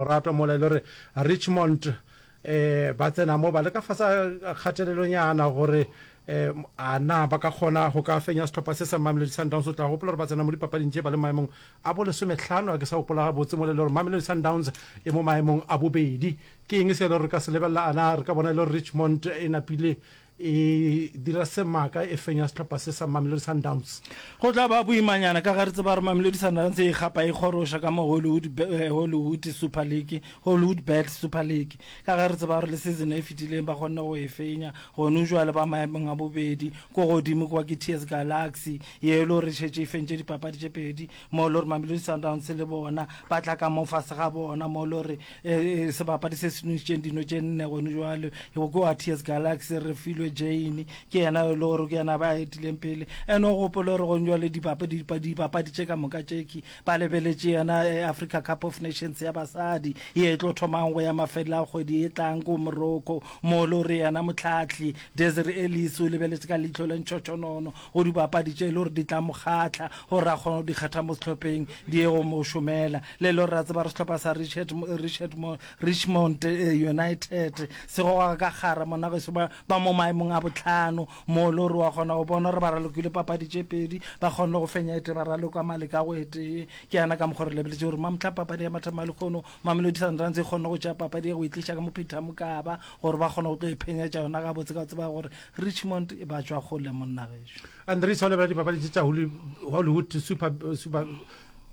Lorato mola e le gore Richmond ba tsena mo ba le ka fasa kgatelelonyana gore a na ba ka kgona go ka fenya setlhopha se sa Mamelodi Sundowns. O tla gopola gore ba tsena mo dipapading tše ba le maemong a bo lesometlhano, a ke sa gopola gabotse mola e le gore Mamelodi Sundowns e mo maemong a bobedi. Ke eng se e le gore re ka se lebelela, a na re ka bona e le gore Richmond e napile e dira se maaka e fenya sehlopha se sa Mamelodi Sundowns. Go tla ba boimanyana ka ga re tseba gore Mamelodi Sundowns e gapa e kgoroša ka mo Hollywood, eh, Hollywood Super League, Hollywood Bet Super League. Ka ga re tseba gore le season e fetileng ba kgonne go e fenya, gone jwale ba maemong a bobedi, ko godimo kwa ke TS Galaxy, ye e le gore šetše e fentše dipapadi tše pedi, mo lo re mamelodi sundowns le bona ba tla ka mo fase ga bona mo lo re eh, eh, sebapadi se se nontšitšeng dino tše nne gone jwale go ko ats galaxy re filwe jane ke yena yo le gore ke yena ba etileng pele ene o gopole gore gone jwale dibapadi dibapadi tše ka moka tšeki ba lebeletše yena eh, africa cup of nations ya basadi ye e tlo thomang go ya mafelela a kgwedi e tlang ko morocco mo lo re yena motlhatlhi desir elis o lebeletše ka leitlho le ntšhotšhonono go dibapadi tše e le gore di tla mo kgahla gore a kgone go di kgetha mo sehlopheng di ye go mo šomela le e le gore ra tseba re sehlopha sa richard richard richmond eh, united se goga ka gara mona ge se ba ba mo maemong a botlhano mo e le gore wa kgona go bona gore ba ralokile papadi tše pedi ba kgonne go fenya ete ba raloka male ka go etee ke yana ka mokgwa re lebeletse gore mamotlha papadi ya mathama lekgono mamelodi sundowns e kgonne go tšea papadi ya go e tliša ka mo peter mokaba gore ba kgone go tlo e phenyetša yona gabotse ka tseba gore Richmond e batšwa kgole monna gešo. Andries o lebela dipapadi tše tša Hollywood Super Super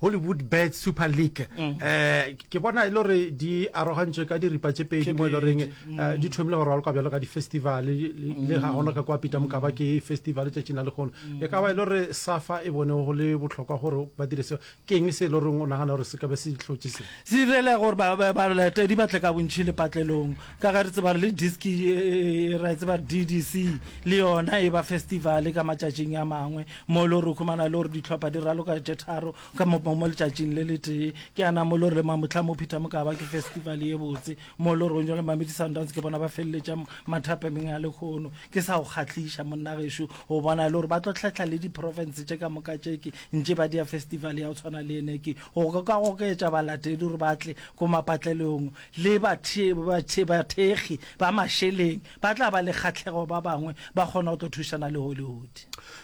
Hollywood Bet Super League mm. eh ke bona e le gore di arogantšwe ka diripa tše pedi mo e le goreng eh, mm. di thomile go rwalwa bjalo ka di-festival le ga gona ka kwa pita mokaba ke festival tšatšing la lekgono mm. e ka ba e le gore safa e bone go le botlhokwa gore ba dire seo Ke eng se e le goreng o nagana gore se ka be se di hlotše se? Se direle gore ba, ba, balatedi ba tle ka bontši lepatlelong, ka ge re tseba gore le diski e, e, e, ra e tseba gore DDC le yona e ba festivale ka matšatšing a mangwe, mo e le gore o khumana le gore dihlopha di raloka tše tharo ka mo, mo, mo letšatšing le letee. Ke a na mo e le gore le mamohla mo Phetha Mokaba ke festivale ye botse. mo lorong le mamedi sundowns ke bona ba feleletša mathapemeng a lekgono ke sa go kgatlhiša monna gešo o bona e le gore ba tlo tlhahla le di-province tše ka moka tšeke ntše ba dia festival ya go tshwana le ene ke go ka gokeetša balatedi gore ba tle ko mapatlelong le bathekgi ba mašeleng ba tla ba le kgatlhego ba bangwe ba kgona go tlo thušana le hollywood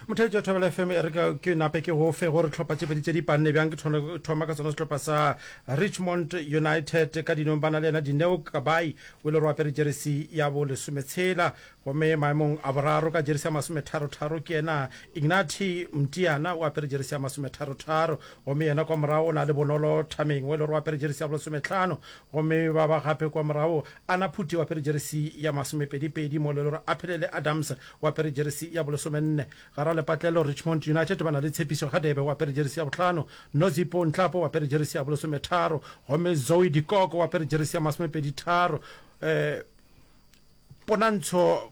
motheetši wa thobela fm e re ka ke nape ke go fe gore tlhopha tše pedi tše di panne bjang ke thone- thoma ka sona sehlopha sa richmond united ka dinong ba na le yena dineo kabai o ile re apere jeresi ya bo lesometshela gomme maemong a boraro ka jeresi ya masometharotharo ke yena ignati mtiana o apere jeresi ya masometharotharo gomme yena kwa morago o na le bonolo thameng o ile re apere jeresi ya bo lesometlhano gomme ba ba gape kwa morago Ana Phuti o apere jeresi ya masomepedipedi, mo e lego gore Aphelele Adams o apere jeresi ya bolesomenne. Garalepatlelo Richmond United ba na le Tshepiso Hadebe o apere jeresi ya bohlano, Nozipo Nhlapo o apere jeresi ya bolesometharo gomme Zoe Dikoko o apere jeresi ya masomepeditharo. Ponantsho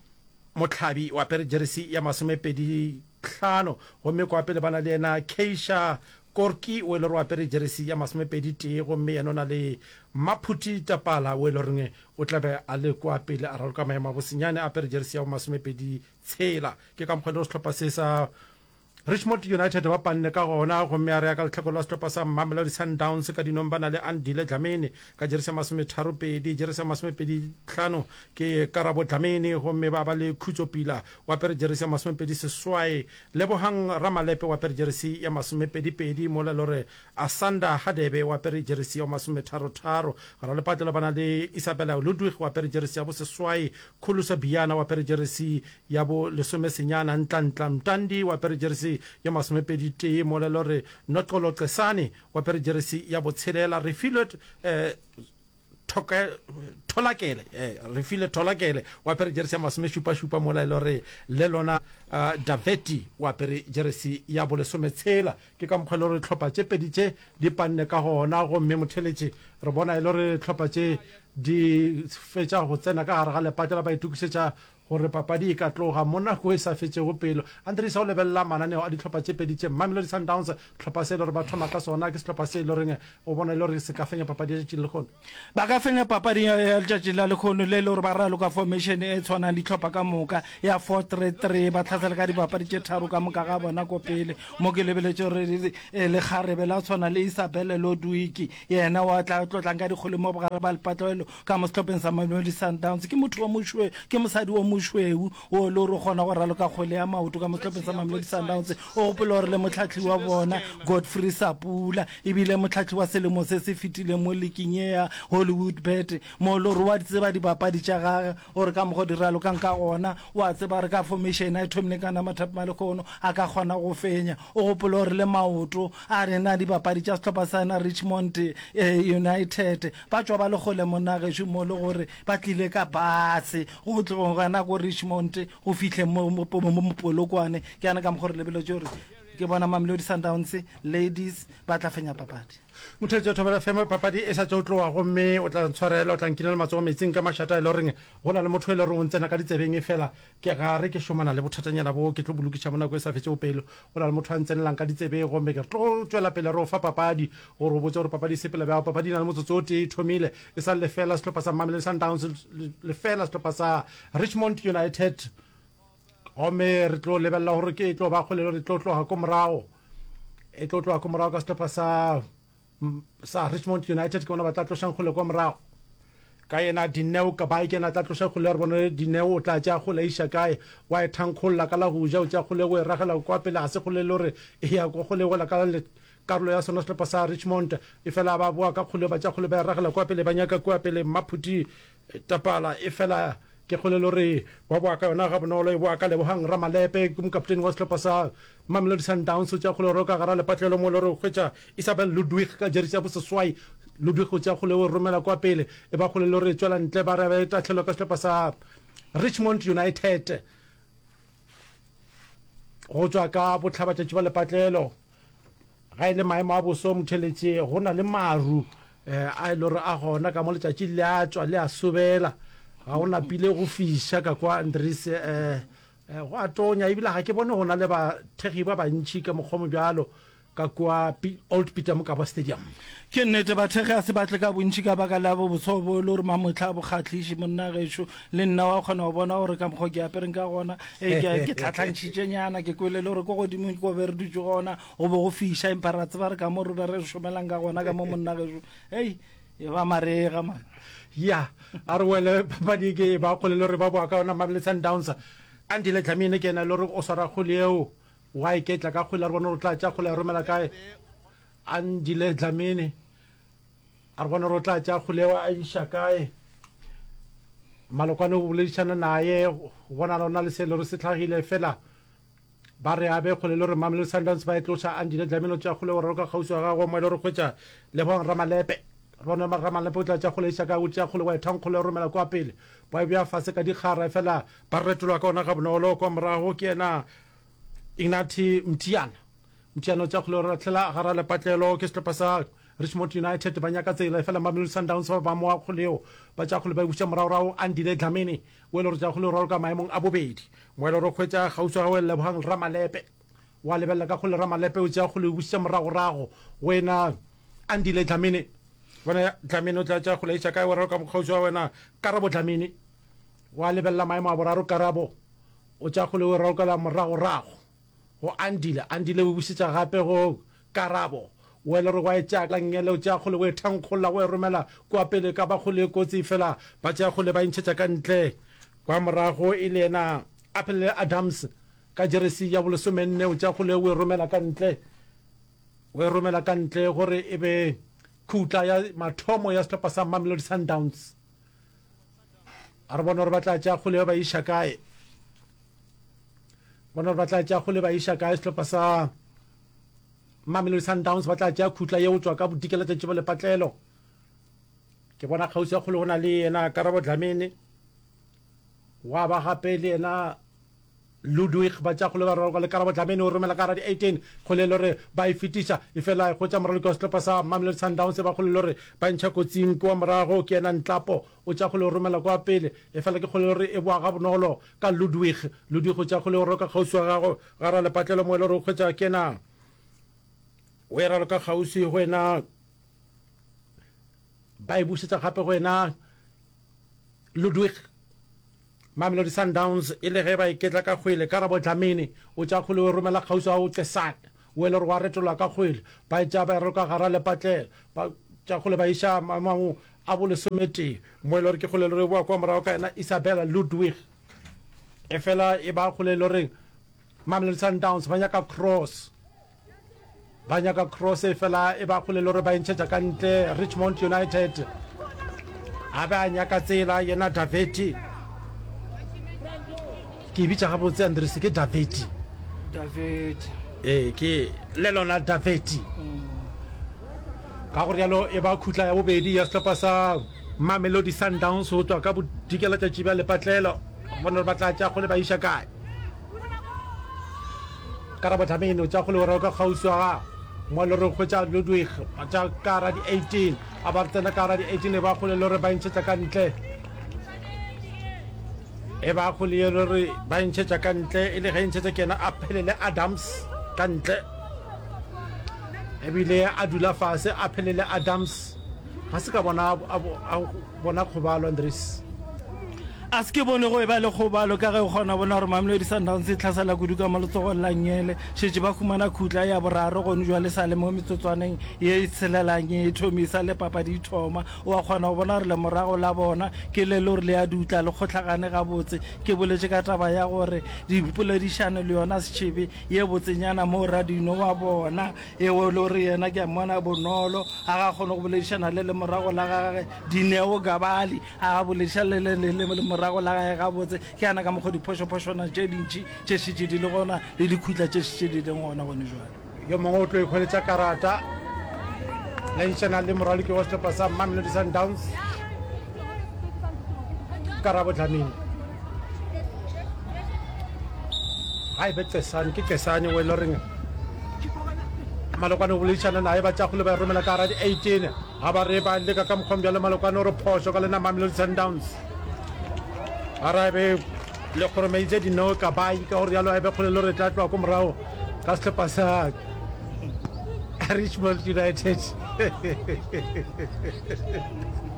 Mohlabi o apere jeresi ya masomepeditlhano gomme kwa pele ba na le yena Keisha Korki o e lego o apere jeresi ya masomepedi tee gomme yena o na le Maphuti Tapala o e lego o tla be a le kua pele a raloka maemo a bosenyane a apere jeresi ya bo masomepedi tshela. Ke ka mokgwa elego sehlopha se sa Richmond United ba panne ka gona gomme a re ya ka lehlakore la sehlopha sa Mamelodi Sundowns ka dinong ba na le Andile Dlamini ka jeresi ya masometharo pedi. Jeresi ya masomepedi hlano ke Karabo Dlamini gomme ba ba le Khutso Pila o apere jeresi ya masomepedi seswai Lebogang Ramalepe o apere jeresi ya masomepedipedi mola e le gore Asanda Hadebe o apere jeresi ya masometharotharo. Ralepatlelo ba na le Isabella Ludwig o apere jeresi ya boseswai, Khulusa Biyana o apere jeresi ya bolesomesenyana, Ntlantla Mtandi o apere jeresi ya masomepeditee mola e le gore Noxolo Cesane o apere jeresi ya botshelela, Refilwe Thoke, Tholakele, eh, Refile Tholakele o apere jeresi ya masomešupašupa mola e le gore le lona uh, Daveti o apere jeresi ya bolesometshela. Ke ka mokgwa e le gore tlhopha tše pedi tše di panne ka gona, gomme motheletše re bona e le gore tlhopha tše di fetša go tsena ka gare ga lepate la ba itokišetša Gore papadi e ka tloga mo nako e sa fetšego pelo, Andries o lebelela mananeo a dihlopha tše pedi tše, Mamelodi Sundowns, hlopha se e le gore ba thoma ka sona, ke sehlopha se e le goreng o bona e le gore se ka fenya papadi ya tšatši le lekgono. Ba ka fenya papadi ya letšatši la lekgono le e le gore ba raloka formation e tshwanang dihlopha ka moka ya four three three, ba tlhasela ka dibapadi tše tharo ka moka ga bona ko pele, mo ke lebeletše gore lekgarebe la tshwana le Isabelle Lodwiki yena wa tla tlotlang ka dikgole mo bogare ba lepatlelo. ka mo sehlopheng sa Mamelodi Sundowns ke motho wa mošwe ke mosadi wa mošweu o le gore o kgona go raloka kgwele ya maoto ka mo sehlopheng sa Mamelodi Sundowns o gopola gore le motlhatlhi wa bona Godfrey Sapula ebile motlhatlhi wa selemo se se fetileng mo leking e ya Hollywood bet mo le gore wa di tseba dibapadi tša gage Gore ka mogo di ralokang ka gona, o a tseba gore ka fomišene a e thomile ka nama Thapi Malekgono a ka kgona go fenya. O gopole gore le maoto a rena dibapadi tša sehlopha sa yena Richmond United ba tšwa ba le kgole monna gešo mo le gore ba tlile ka base go tlo gana ko Richmond go fihle mo Polokwane. Ke yana ka mogo re lebeletše gore ke bona Mamelodi Sundowns Ladies ba tla fenya papadi. Motheletse o thomela fema papadi e sa tšo tloa gomme o tla ntshwarela, o tla nkinela matsogo metsing ka mašata e le goreng go na le motho e le goreng o ntsena ka ditsebeng efela ke ga re ke šomana le bothatanyana boo ke tlo bo lokiša mo nako e sa fetšego pelo. Go na le motho a ntsenelang ka ditsebeng gomme ke tlo tšwela pele re o fa papadi gore o botse gore papadi e sepela bjang. Papadi e na le motsotso o tee e thomile, e sa le lefeela sehlopha sa Mamelodi Sundowns lefeela sehlopha sa Richmond United. gomme re tlo lebelela gore ke e tlo ba kgolelo re tlo tloga ko morago e tlo tloga ko morago ka sehlopha sa sa richmond united ke bona ba tla tlošang kgole kwa morago ka yena dineo ka bae ke yena tla tloša kgole ya re bone dineo o tla tša kgole iša kae wa e thankgolola ka la go ja o tša kgole go e ragela kwa pele ga se kgole le gore e ya kwa kgole gola ka karolo ya sona sehlopha sa richmond e fela ba boa ka kgole ba tša kgole ba e ragela kwa pele ba nyaka kwa pele mmaphuti Tapala e fela ke kgolelo re wa boa ka yona ga bonolo e boa ka Lebogang Ramalepe ke mokapteni wa sehlopha sa Mamelodi Sundowns o tšea kgolero ka gara lepatlelo mo le re hwetša Isabel Ludwig ka jerisi ya boseswai Ludwig o tšea kgoleo e romela kwa pele e ba kgolelo re tšwela ntle ba re ba e tahlelwa ka sehlopha sa Richmond United go tšwa ka botlhabatšatši ba lepatlelo. Ga e le maemo a boso motheletše, go na le maru a e le gore a gona ka mo letšatši le a tšwa le a sobela. Ga go napile go fiša ka kwa Andries, go a tonya ebile ga ke bone go na le bathekgi ba bantši ka mokgwa mo bjalo ka kwa Old Peter Mokaba Stadium. Ke nnete, bathekgi ga se ba tle ka bontši ka baka la bobotshwa bo e le gore mamotlha a bo kgatlhiše. Monna gešo, le nna wa kgona go bona gore ka mokgwa ke apereng ka gona, e ke ke tlhatlhantšhitšenyana, ke kwele le gore ko godimo ke ko be re dutše gona go be go fiša, empa ra tseba re ka mo re be re šomelang ka gona ka mo monna gešo. Hei, e ba marega man. ya a re wele papadi e ke e ba kgole le gore ba boa ka yona mabele sundowns andile dlamine ke ena e le gore o swara kgole eo wa e ketla ka kgole a re bone gore o tla tša kgole ya romela kae Andile Dlamini, A re gona gore o tla tša Kguleo a iša kae? Malokwane o boledišana naye, go bonala o na le se le gore se hlagile, fela ba re a be kgole le gore Mamelodi Sundowns ba e tloša Andile Dlamini o tša Kguleo raloka kgauswi wa gagwe mo e le gore hwetša Lebogang Ramalepe. Re bone gore Ramalepe o tla tša Kguleo a iša kae, o tšea Kguleo a e thang Kguleo a romela kwa pele, ba e bea fase ka dikgara, fela ba retolwa ka ona gabonolo kwa morago ke yena Ignati Mtiyana Mtiyana o tša kgolero lahlela gara lepatlelo ke setlhopha sa Richmond United ba nyaka tsela efela Mamelodi Sundowns ba ba moa kgoleo ba tša kgole ba e butša moragorago Andile Dlamini o e le gore tša kgoleo raloka maemong a bobedi mo e le gore kgwetša kgauswi ga o lebogang Ramalepe wa lebelela ka kgole Ramalepe o tša kgole o butša moragorago go ena Andile Dlamini bona Dlamini o tla tša kgole e tša kae wa raloka mokgauswi wa wena Karabo Dlamini Gwa lebelela maemo a boraro Karabo o tša kgole o e raukela moragorago go Andile, Andile o e bušetša gape go Karabo o e le gore wa e tšea ka ngele o tšea kgole o e thankgolla o e romela kua pele ka ba kgole e kotsi efela ba tšea kgole ba e ntšhetša ka ntle kwa morago e le yena Aphelele Adams ka jeresi ya bolesomenne o tšea kgole o e romela ka ntle o e romela ka ntle gore e be khutla ya mathomo ya sehlopha sa Mamelodi Sundowns. a re bona gore ba tla tša kgole ba iša kae bona gore ba tla tša kgole ba iša kae sehlopha sa mamelodi sundowns ba tla tša khutla ye o tswa ka bodikela tšatši ba lepatlelo ke bona kgauswi ya kgole go na le yena karabo dlamene wa ba gape le yena Ludwig Batšakgole ba raloka le Karabo Dlamini o romela ka radio 18 kgolelo re ba e fetiša e fela e hwetša moraloki wa sehlopa sa Mamelodi Sundowns e ba kgolelo re ba e ntšha kotsing kwa morago ke yena Nhlapo o tša kgole o romela kwa pele e fela ke kgolelo re e boa gabonolo ka Ludwig Ludwig o tša kgole o roka kgauswi wa gago ga ra lepatlelo moelo re o hwetša ke yena o e raloka kgauswi go yena ba e bušetša gape go yena Ludwig. Mamelodi Sundowns e le ge ba iketla ka kgwele, Karabo Dlamini o tša kgwele o e romela kgauswi ga Uche Sake, o e le gore wa retolola ka kgwele, ba e tšea ba e roka gara lepatlelo, ba tša kgwele ba iša maemong a bolesometee, mo e le gore ke kgwele e le gore e bowa kwa morago ka yena Isabella Ludwig, efela e ba kgwele e le goreng Mamelodi Sundowns ba nyaka cross ba nyaka cross e fela e ba kgole le gore ba entšhetša ka ntle richmond united a be a nyaka tsela yena daveti ke e bitša gabotse andrese ke daveti ee ke le lona daveti ka go rialo e ba khutla ya bobedi ya setlhopa sa mamelodi sundowns go tswa ka bodikela tšatši bja lepatlelo gone gore ba tla tša kgole ba iša kae karabo tlamene o tša go legorego ka kgauswi wa gago mo le re hwetša ludwig ba tša ka ra di-18 a ba re tsena ka ra di-18 e ba kgole le re ba ntšhetša ka ntle e ba kgole ye le re ba ntšhetša ka ntle e le ge e ntšhetša ke yena a phelele adams ka ntle ebile a dula fase a phelele adams ga se ka bona Bona kgobalo, Andries a se ke bone go e ba le kgobalo ka ge o kgona bona gore Mamelodi Sundowns e tlhasela kudu ka mo letsogong la Nyele. Šetše ba humana khutla ya boraro gone jwa le sa le mo metsotswaneng ye e tshelelang e thomi sa le papadi e thoma. O a kgona go bona gore lemorago la bona ke le lore le a dutla le kgohlagane gabotse. Ke boletše ka taba ya gore dimpoledišano le yona setšhebe ye botsenyana moo Radino wa bona Ewa o lo re yena ke a mmona bonolo a ga kgone go boledišana le lemorago la gage Dineo Gabali a ga bolediša le le le le lemorago la gage gabotse ke yana ka mokgwa diphošophošwana tše dintši tše šetše di le gona le dikhutla tše šetše di leng gona gone jwale. Yo mongwe o tlo ikgweletša karata. Lentšana le moraloki wa sehlopha sa Mamelodi Sundowns. karabo dlamini ga e be cesane ke cesane o e le reng malokwane o boledišana naye ba tšagole ba e romela ka gara di-eighteen ga ba re ba leka ka mokgwang bjale malokwane o re phoso ka lena mamelodi sundowns gara e be le kgoromeitse dino ka bai ka gore yalo a be kgole le re tla tloa ko morago ka setlhopa sa richmond united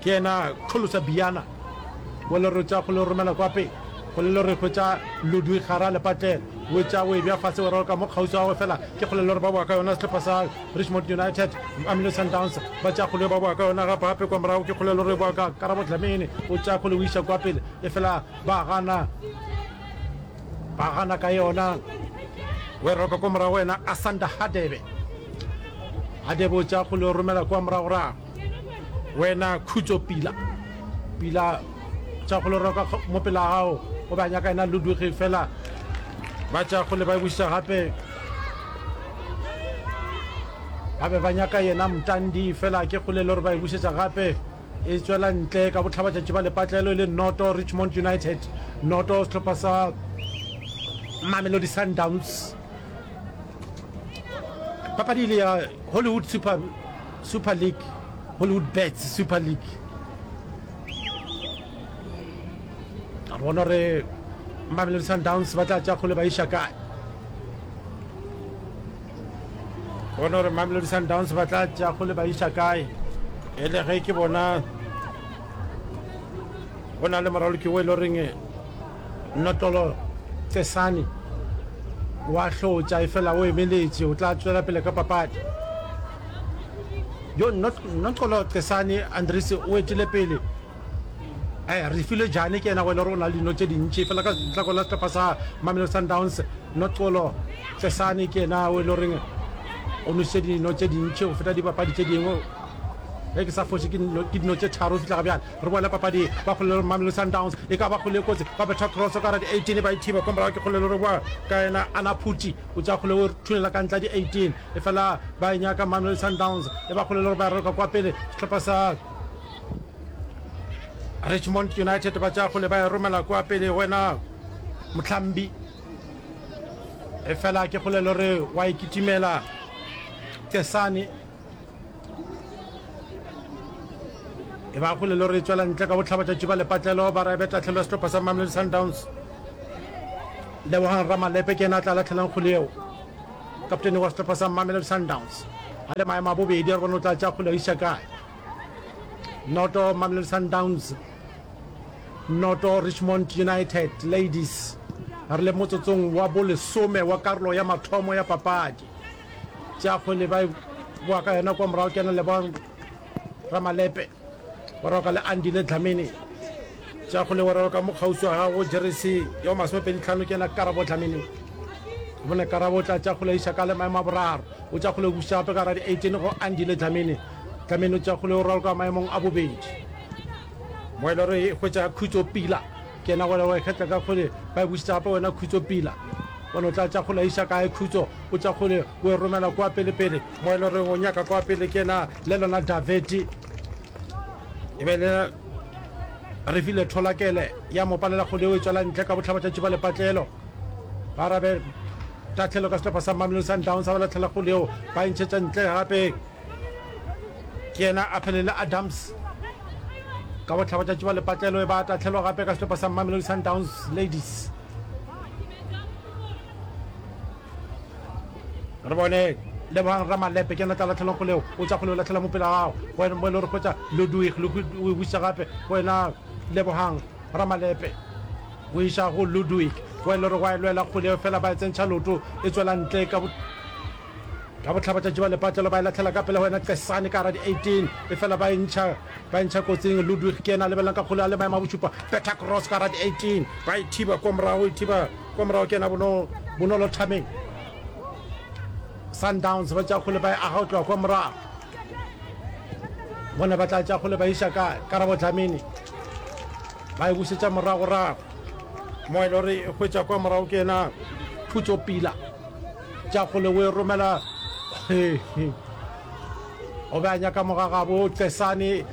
Ke yena Xholosa Biyana wo le re tša go le romela kwa pele, go le le re hwetša Ludwi Xara Lepatlelo, o etša o e bja fase weraro ka mo kgauswi ga gagwe fela ke go le le re ba boa ka yona sehlopha sa Richmond United, Mamelodi Sundowns ba tša go le ba boa ka yona gape kwa morago ke go le le re boa ka Karabo Dlamini o tša go le o iša kwa pele efela ba gana ba gana ka yona weraro ka kwa morago yena Asanda Hadebe Hadebe o tša go le romela kwa moragorago. wena khutso pila pila tša go loroka mo pela gago o ba nyaka ena luduge fela ba tša go le ba buša gape ba be ba nyaka yena mtandi fela ke go le lore ba e bušetša gape e tswela ntle ka botlhabatšatši ba lepatlelo e le noto richmond united noto setlhopha sa mamelodi sundowns papadi ile ya hollywood super Super League, Hollywood Bets Super League. A bona re Mamelodi Sundowns ba tla tša kgole ba iša kae. Bona re Mamelodi Sundowns ba tla tša kgole ba iša kae. E le ge ke bona go na le moraloki o e le reng Nnotlolo Cesane o a hlotša efela o emeletše, o tla tšwela pele ka papadi. Yo Nnotlolo Cesane Andries o etile pele. Eh, Refilwe Jane ke yena go e le gore o na le dino tše dintši efela ka setlako la sehlopha sa Mamelodi Sundowns Nnotlolo Cesane ke yena o e le goreng o nošitše dino tše dintši go feta dibapadi tše dingwe ge ke sa foše ke dino tše tharo go fihla ga bjale. Re boela papading. Ba kgolelo Mamelodi Sundowns e ka ba kgole e kotsi. Ba betha kroso ka gare ya di 18 ba e thiba kwa morago ke kgolelo re boa ka yena Ana Phuti o tšea kgole o e thulela ka ntle ya di 18 efela ba e nyaka Mamelodi Sundowns e ba kgolelo re ba raloka kwa pele sehlopha sa Richmond United ba tšea kgole ba e romela kwa pele wena Motlhambi efela ke kgolelo re wa e kitimela Kesane e ba go lelo re tswela ntle ka botlhabatšatši ba lepatlelo ba raebe tatlhelo ya setlopha sa mamelodi sundowns lebogang ramalepe ke ena a tla latlhelang kgole eo kaptene wa setlopha sa mamelodi sundowns a le maemo a bobedi a re bone o tla tša kgole a isa kae noto mamelodi sundowns noto richmond united ladies re le motsotsong wa bolesome wa karolo ya mathomo ya papadi tša kgole ba boa ka yona kwa morago kena le ba ramalepe wa roka le andi le dlamene tša kgole wa roka mo kgauswi wa gago jerese ya masomepedi tlhano kena karabo dlamene bone karabo tla tša kgole iša ka le maemo a boraro o tša kgole buša gape ka ra di-eighteen go andi le dlamene dlamene o tša kgole o roka maemong a bobedi mo e le gore e hwetša khutso pila Kena gona wa ikgetla ka kgole, ba e bušetša gape wena khutso pila. Bona o tla tša kgole iša kae khutso, o tša kgole o e romela kwa pelepele mo e le goreng o nyaka kwa pele ke na le lona Daveti. E be le re file tholakele ya mo palela kgole o e tswela ntle ka bohlaba tša tšuba lepatlelo. Ba arabe tahlelo ka sehlopha sa Mamelodi Sundowns ba latlhela kgole yeo ba e ntšhetša ntle gape. Ke yena a pele le Adams. Ka bohla ba tšatši ba lepatlelo e ba a tahlelwa gape ka sehlopa sa Mamelodi Sundowns Ladies. Re bone Lebogang Ramalepe ke yena tla latlhelwang kgoleo o tša kgoleo latlhela mopela gago go wena mo e le gore kgotsa Ludwig le o e buša gape go wena Lebogang Ramalepe o iša go Ludwig go wena le gore go a e lwela kgoleo fela ba e tsentšha loto e tswela ntle ka ka bohlaba tša juba lepatlelo ba e latlhela ka pele go wena qesane ka gara di-18 e fela ba entšha ba entšha kotsing ludwig ke ena a lebelelang ka kgole a le maemo a bošupa beta cross ka gara di-18 ba e thiba kwa morago e thiba kwa morago ke ena bonolo thameng sundowns ba tša kgole ba e aga go tloga kwa morago bona ba tla tša kgole ba iša ka karabo dlamini ba e busetša moragorago mo e le gore e hwetša kwa morago ke ena phutso pila tša kgole o e romela o be a nyaka mogagabo tesane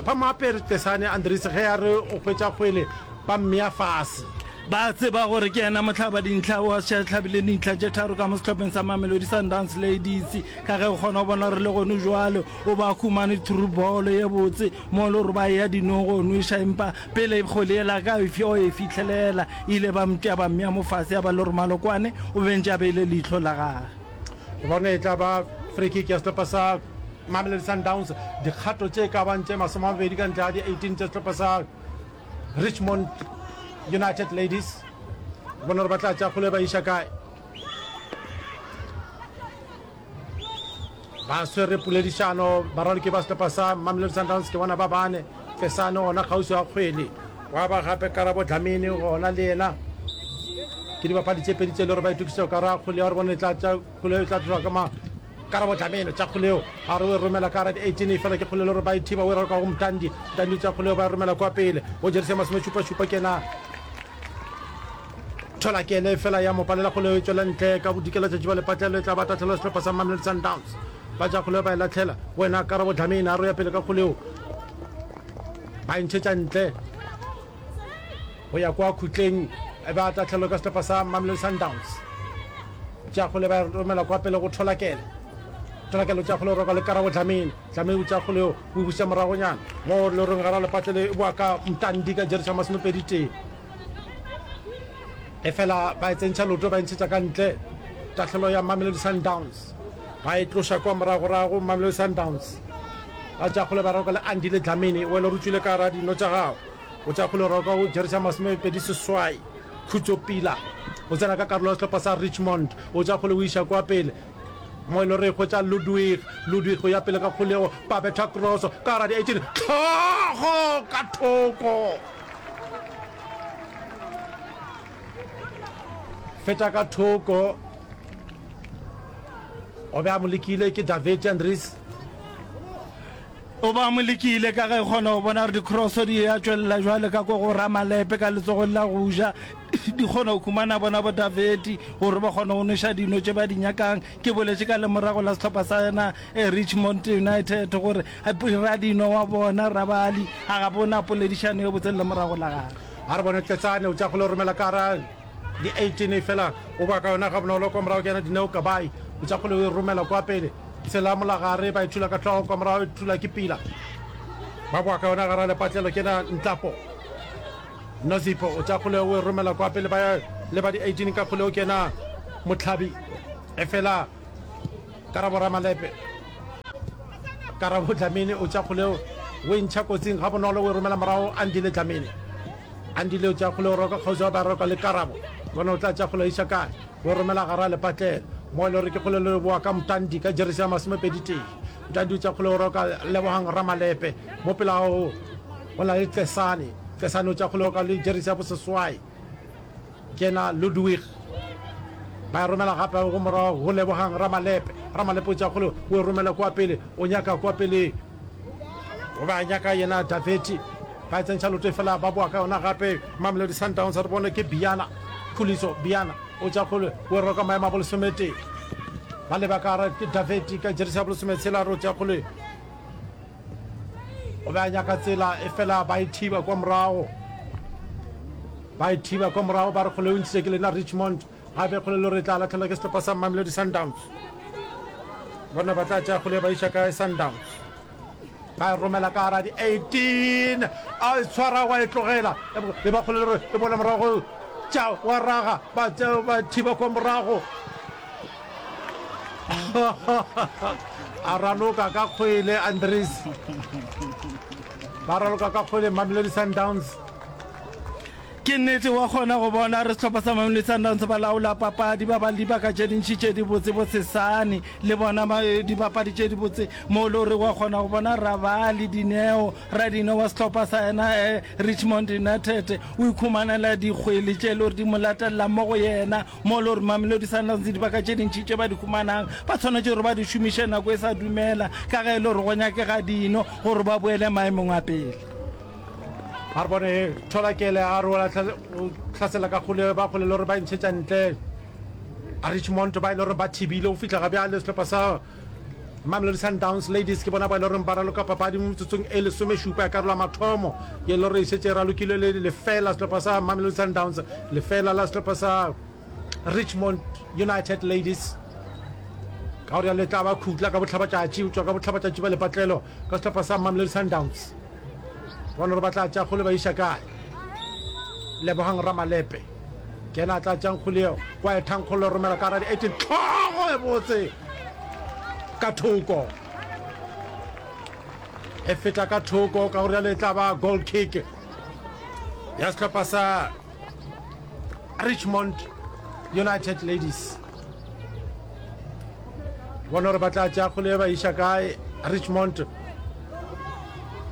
ba mo apere tesane andrese ge ya re o hwetša kgwele ba mmea fase ba tseba gore ke yena motlhaba dintlha wa setlhabile dintlha tše tharo ka mo setlhopheng sa mamelodi sundance ladies ka ge o kgona go bona gore le gone jwale o ba khumane thurubolo ye botse Mo loroba ya dinogo nweša empa pele kgole yela ka efi o e fihlelela ile ba mtya ba mmea mo fase ya ba le romalo kwane o bentše a beile leihlo la gage. Re bone e tla ba free kick ya sehlopa sa Mamelodi Sundowns dikgato tše ka bang tše masome a mabedi ka ntle ga di 18 tša sehlopa sa Richmond United Ladies. Re bone gore ba tla tša kgole ba iša kae. ba swere poledišano baraloki ba sehlopha sa mamelodi sundowns ke bona ba bane fesane ona kgauswi wa kgwele wa ba gape karabo dlamini gona le yena ke dibapadi tse pedi tse le gore ba itokisetsa ka ra kgoleo re bone tla tsa kgoleo tla tloga ka ma karabo dlameno tsa kgoleo a re o e romela ka ra 18 e fela ke kgolelo gore ba e thiba o e raloka go mtandi mtandi tsa kgoleo ba e romela kwa pele o jerise masome šupa šupa kena Thola ke ene fela ya mo palela kgoleo e tšwela ntle ka bodikela tšatši ba lepatlelo e tla ba tatlhelo sehlopa sa Mamelodi Sundowns ba ja kgoleo ba e latlhela wena Karabo Dlamini a roya pele ka kgoleo ba e ntšhetša ntle go ya kwa khutleng e ba tatlhelo ka sehlopa sa Mamelodi Sundowns tša kgole ba romela kwa pele go thola kele thola kele tša kgole roka le Karabo Dlamini Dlamini tša kgole o buša moragonyana mo loreng gara lepatlelo e boa ka mtandi ka jerisa masomepedi tee e fela ba e tsentšha loto ba e ntshetša ka ntle tahlelo ya mamelodi sundowns ba e tloša kwa moragorago mamelodi sundowns ba tšakgole ba roka le andile dlamini o ele rutswile ka ra dino tša gago o tšakgole roka o jerisa masomepedi seswai khutso pila o tsena ka karolo ya sehlopha sa richmond o tšakgole o iša kwa pele mo e le gore e hwetša ludwig ludwig go ya pele ka kgolego ba betha cross ka ra di-eighteen tlhogo ka thoko feta ka thoko o be a mo lekile ke david andres o ba mo lekile ka ge kgona go bona gore dicrosso di ya tšwelela jwale ka ko go ramalepe ka letsogong la go ja di kgona go khumana bona bo daveti gore ba kgona go noša dino tše ba di nyakang ke boletše ka lemorago la setlhopha sa yena eh, richmond united gore Radinwa wa bona Rabali a ga bona poledišano yo botse le morago la gare. A re bone Tletsane o tša go le romela ka ra di 18 e fela o kwa ka yona ga bonolo kwa morago ke yena Dineo Kabai o tša go le romela kwa pele tshela molagare ba e thula ka hlogo kwa morago e thula ke pila ba boa ka yona gara lepatlelo ke na Ntlapo Nozipo o tša go le o e romela kwa pele ba le ba di 18 ka go le o kena Motlhabi e fela karabo ramalepe karabo dlamini o tša kgoleo o e ntšha kotsing ga bonolo o e romela morago andile dlamini andile o tša kgoleo o roka kgauswa ba roka le karabo bona o tla tša kgoleo iša kae o e romela gara lepatlelo mo e le gore ke kgolelo le boa ka mtandi ka jeresi ya masomepedi tee mtandi o tša kgoleo o roka lebogang ramalepe mo pela gago o na le tlesane tlesane o tša kgoleo ka le jeresi ya boseswai Kena Ludwig ba e romela gape go morago go Lebogang Ramalepe. Ramalepe o tšea kgole o e romela kwa pele, o nyaka kwa peleng. O ba nyaka yena Daveti, ba e tsentšha lote fela ba boa ka yona gape. Mamelodi Sundowns re bone ke Biyana Khuliso, Biyana o tšea kgole o e rwa ka maemo a bolesometee. Ba leba ka gare ke Daveti ka jeresi ya bolesometshela, re o tšea kgole. o be a nyaka tsela e fela ba e thiba kwa morago ba e thiba kwa morago ba re kgole o ntšhitše ke lena richmond ga be kgole lo re tla latlhelwa ke setlhopa sa mamelodi sundowns bona ba tla tšea kgole ba iša kae sundowns ba e romela ka gara di-eighteen a e tshwara wa e tlogela e ba kgole le gore e bola morago tša wa raga ba thiba kwa morago a raloka ka kgwele andres ba raloka ka kgwele mamelodi sundowns ke nnete wa kgona go bona re setlhopha sa mamelodi sundowns ba laola papadi ba ba le dibaka tše dintšhi tše dibotse bo sesane le bona eh, dibapadi tše dibotse mo le gore wa kgona go bona rabale dineo ra dineo wa setlhopha sa yena um richmond united o ikhumanela dikgwele tše le gore di mo latelela mo go yena mo le gore mamelodi sundowns dibaka tše dintši tše ba di humanang ba tshwanetse gore ba di šomiše nako e sa dumela ka ge e le gore go nyakega dino gore ba boele maemong a pele a re bone tholakele a re ola tlhasela ka kgole ba kgole le gore ba e ntshetša ntle a richmond ba e le gore ba thibile go fitlha ga bjale setlhopha sa Mamelodi Sundowns Ladies ke bona bao e loreng ba raloka papadi mo metsotsong e lesomešupa ya karolo ya mathomo ye e loreng e šetše e ralokilwe le lefela sehlopha sa Mamelodi Sundowns lefela la sehlopha sa Richmond United Ladies ka gore ya letla ba khutla ka botlhabatšatši o tšwa ka botlhabatšatši ba lepatlelo ka sehlopha sa Mamelodi Sundowns bona gore ba tla tša kgole ba iša kae lebogang ramalepe ke ena a tla tšang kgoleo kwa ethankgolo romela ka radi eighteen tlhogo e botse ka thoko e feta ka thoko ka gore le tla ba goal kick ya sehlopha sa richmond united ladies bona gore ba tla tša kgolo e ba iša kae richmond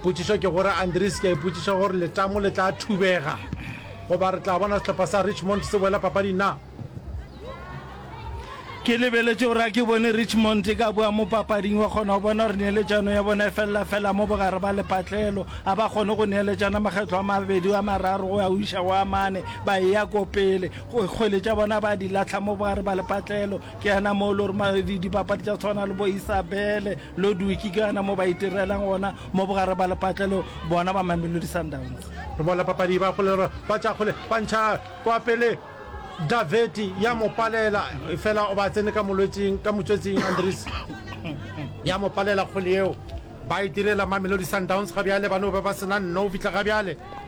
potšišo ke gore andres ke a ipotšiša gore letamo le tla thubega goba re tla bona setlhopha sa richmond se boela papadi na ke lebeletše gore a ke bone richmond e ka boa mo papading wa kgona go bona gore neeletšano ya bona e felela fela mo bogare ba lepatlelo a ba kgone go neeletšana makgetlho a mabedi a mararo go ya o iša go a mane ba eya ko pele kgwele tša bona ba di latlha mo ba re ba le patlelo ke yana mo e le gore dipapadi tša tshwana le bo isabele lo duki ke yana mo ba itirelang gona mo bogare ba le patlelo bona ba mamelodi sundowns re bona papadi ba kgole ba tša kgole ba ntšha kwa pele daveti ya mo palela fela o ba tsene ka molwetsing ka motswetsing andres ya mo palela kgole eo ba itirela mamelodi sundowns ga bjale ba no ba ba sena nno o fitlha ga bjale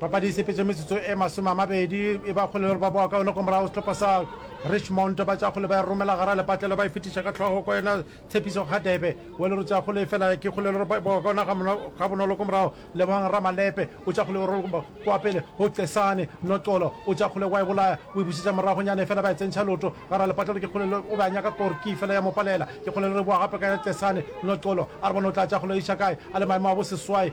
Papadi e sepetše metsotso e masome a mabedi e ba kgole le gore ba boa kaone go morago setlhopha sa Richmond ba tšakgole ba e romela gara lepatlelo ba e fetiša ka tlhogo kwa yena tshepiso ga debe o le gore tšakgole e fela ke kgole le gore ba boa kaone ga bonolo go morago lebogang ramalepe o tšakgole o rola kwa pele go cesane noxolo o tšakgole wa e bolaya o e busetša moragonyana e fela ba e tsentšha loto gara lepatlelo ke kgole le o be a nyaka kore ke fela ya mo palela ke kgole le re boa gape ka ya cesane noxolo a re bona o tla tšakgole iša kae a le maemo a boseswai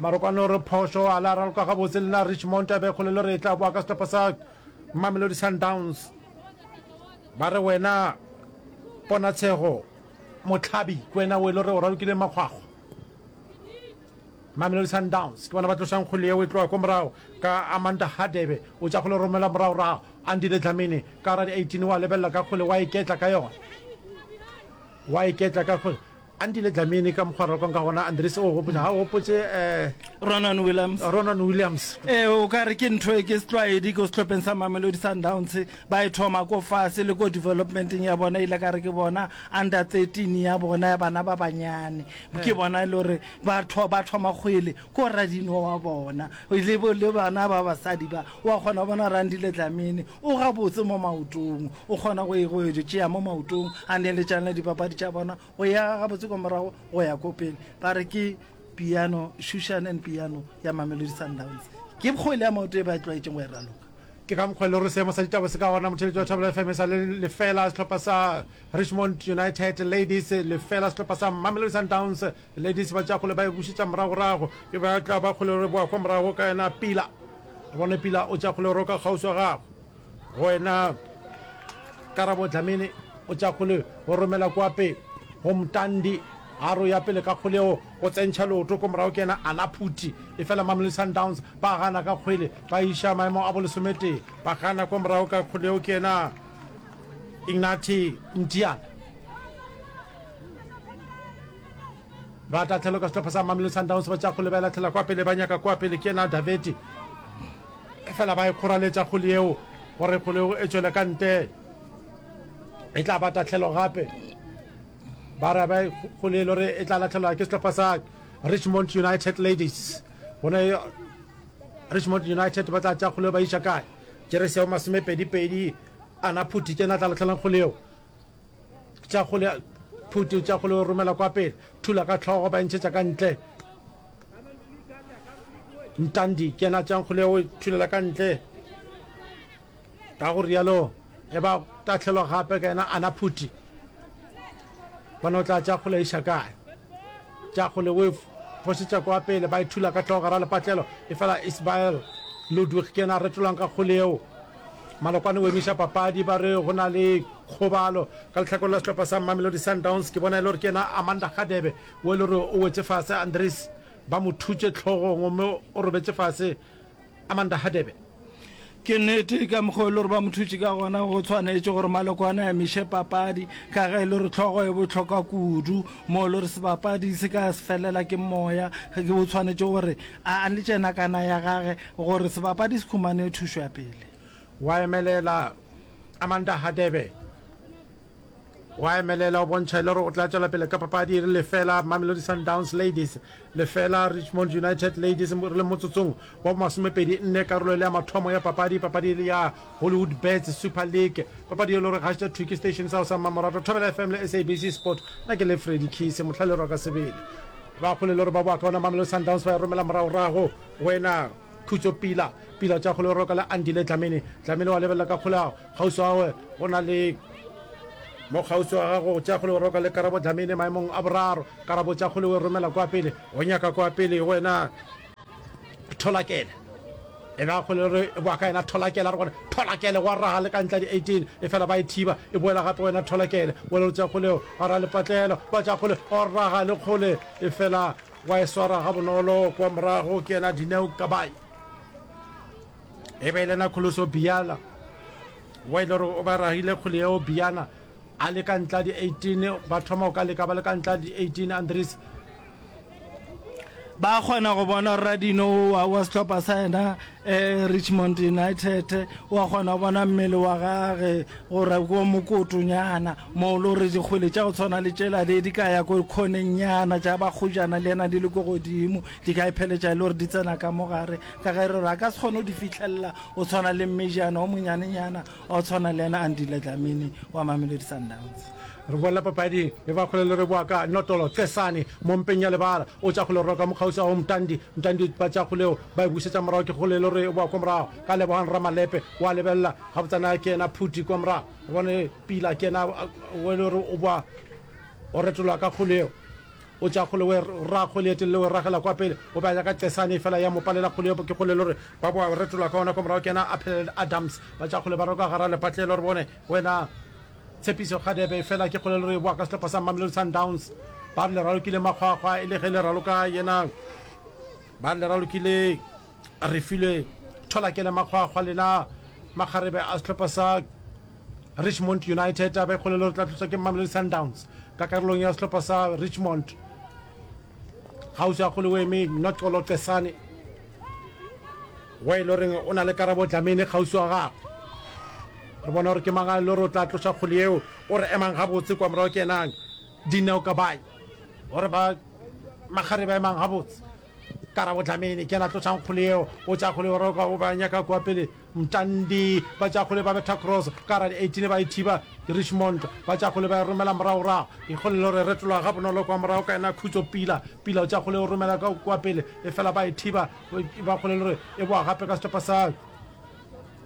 marokwane o re phošo a la raloka gabotse le na richmond a be kgolelo re e tla boa ka setlhopha sa mamelodi sundowns ba re wena ponatshego motlhabi ke wena o e le gore o ralokile makgwakgwa mamelodi sundowns ke bona ba tlosang kgole yeo e tloga ko morago ka amanda hadebe o tša kgole romela moragorago andile dlamini ka ra di-18 wa lebelela ka kgole wa iketla ka yona wa iketla ka kgole Andile Dlamini ka mokgwa rokwang ka gona Andries o gopotša ga o gopotše eh, Ronan Williams eh, Ronan Williams e o ka re ke ntho e ke setlwaedi ko setlhopheng sa mamelodi sundowns ba e thoma ko fase le ko developmenteng ya bona ile ka re ke bona under 13 ya bona ya bana ba banyane ke bona e le gore ba tho- ba thoma kgwele ko radino wa bona le bo le bana ba basadi ba wa kgona go bona randi le tlamene o ga botse mo maotong o kgona go e go e tšea mo maotong a ne le tšana dipapadi tša bona go ya ga botse kwa morago go ya ko pele ba re ke piano shushan and piano ya mamelodi sundowns ke kgwele ya maoto e ba e tlwaetseng go e raloka ke ka mokgwa le gore seemo sa ditaba se ka gona motheletši wa thabela fm e sa le lefela sehlopha sa richmond united ladies lefela sehlopha sa mamelodi sundowns Ladies ba tša kgole ba e bušetša moragorago. E be a tla ba kgole re boa kwa morago ka yena Pila. A bone Pila o tša kgole ro ka kgauswa gagwe. Go yena Karabo Dlamini o tša kgole o romela kwa pe go Mtandi. A ro ya pele ka kgole o o tsentšha leoto ko morago ke yena Ana Phuti. E fela Mamelodi Sundowns ba gana ka kgwele ba iša maemo a bo lesometee. Ba gana kwa morago ka kgole o ke yena Ignaty Mtiyana. ba tla tlhelo ka setlhopha sa mamelo sundowns ba tša go lebelela tlhela kwa pele ba nyaka kwa pele ke ena daveti fela ba e kgoraletša kgole eo gore kgole eo e tšwele ka nte e tla ba tatlhelo gape ba ra ba kgole e le gore e tla latlhelwa ke setlhopha sa richmond united ladies gone richmond united ba tla tša kgole ba iša kae jeresi ya masomepedipedi ana phuthi ke na tla latlhelang kgole eo tša go le phuti tša go le romela kwa pele thula ka tlhogo ba ntšhetša ka ntle ntandi ke yena tšang go le o thulela ka ntle ka go rialo e ba tatlhelwa gape ka yena ana phuti bona o tla tša go le iša kae tša go le o fosetša kwa pele ba e thula ka tlhogo gara lepatlelo e fela isbael ludwig ke yena a retolwang ka go leo Malokwane o emiša papadi ba re go na le kgobalo. Ka lehlakore la sehlopha sa Mamelodi Sundowns ke bona e le gore ke yena Amanda Hadebe wo e le gore o wetše fase, Andries ba mo thutše tlhogong gomme o robetše fase Amanda Hadebe. Ke nnete ka mokgwa o e le gore ba mo thutše ka gona go tshwanetše gore Malokwane a emiše papadi ka ge e le gore tlhogo e bohlokwa kudu mo e le gore sebapadi se ka se felela ke moya, o tshwanetše gore a le tše nakana ya gage Gore sebapadi se humane thušo ya pele. Wa emelela Amanda Hadebe. Wa emelela o bontšha e le gore o tla tšwela pele ka papadi e re lefela Mamelodi Sundowns Ladies lefela Richmond United Ladies re le motsotsong wa bomasomepedi nne karolo e le ya mathomo ya papadi papadi e le ya Hollywood Bets Super League papadi e le gore gašta thuki station sa go sa mmamoratwa thobela FM le SABC Sport na ke le Freddy Kise motlhalero wa ka sebele ba kgole le gore ba boa ka ona Mamelodi Sundowns ba e romela moragorago Wena, Khutso, Pila, Pila tša kgole, Roka le Andile, Dlamini, Dlamini wa lebelela ka kgoleago, Kgauswi wa gago, go na le mo kgauswi wa gago, tša kgole, Roka le Karabo, Dlamini maemong a boraro, Karabo tša kgole, we romela kwa pele, o nyaka kwa pele, wena, Tholakele, e be a kgole re boa ka yena, Tholakele, a re gona, Tholakele, gwa raga le ka ntle a di 18, e fela ba e thiba, e boela gape wena, Tholakele, wena o tša kgoleo, a ra lepatlelo, ba tša kgole, o raga le kgole, e fela. wa e swara ga bonolo kwa morago ke ena dineo kabayi e be e lena kholoso biala wa ile gore o ba ragile kgole yeo biana a le ka ntla di 18 ba thoma o ka leka ba le ka ntla di 18 andres ba kgona go bona rradino wa setlhopha sa ena Eh, Richmond United, wa kgona go bona mmele wa gage gore ko mokotonyana moo lo re dikgwele tša go tshwana le tšela le di ka ya ko kgonennyana tša bakgojana le yena di le ko godimo di ka ipheletša e le gore di tsena ka mogare ka ge re re a ka se kgone go di fitlhelela o tshwana le mmejana o monyanenyana O tshwana le yena Andile Dlamini wa Mamelodi Sundowns. Re boela papading e ba kgole le re boa ka Notolo Cesane mo mpeng ya lebala. O tša kgole o roka mokgauswa go Mtandi. Mtandi o ba tša kgole o ba e bušetša morago ke kgole le re boa kwa morago ka Lebogang Ramalepe. O a lebelela gabotsana ke yena Phuti kwa morago. O bone Pila ke yena o le re o boa go retoloa ka kgole eo. O tšea kgole o e ra kgole e telele o e ragela kwa pele, o be a ya ka qesane efela ya mo palela kgole yopo ke kgole lore ba boa retola ka ona kwa morago ke yena a phelela le Adams ba tšea kgole ba roka gara lepatle lore bone wena Tshepiso Kgadebe efela ke kgole lore e boa ka sehlopha sa Mamelodi Sundowns ba re le ralokile makgwakgwa e le ge le raloka yena ba re le ralokile Refilwe Tholakele Makgwakgwa le na makgarebe a sehlopha sa Richmond United a be kgolelo re tla tloswa ke Mamelodi Sundowns ka karolong ya sehlopha sa Richmond gausi a kgole o eme Nocolo Cesane wa e le goreng o na le karabo dlamene kgausi wa gagwe re bona gore ke mang a le gore o tla tloša kgole yeo o re emang gabotse kwa morago ke enang dineo kabae gore ba makgarebe a emang gabotse karabo dlamini ke la tlotšang kgole eo o tša kgole o roka o ba nyaka kua pele mtandi ba tša kgole ba betha cross ka ra di-eighteen ba e thiba richmond ba tša kgole ba e romela moragorago ikgole le gore retologa ga bonolo kwa morago ka ena khutso pila pila o tša kgole o romela ka kua pele e fela ba e thiba ba kgole le gore e boa gape ka setopa sa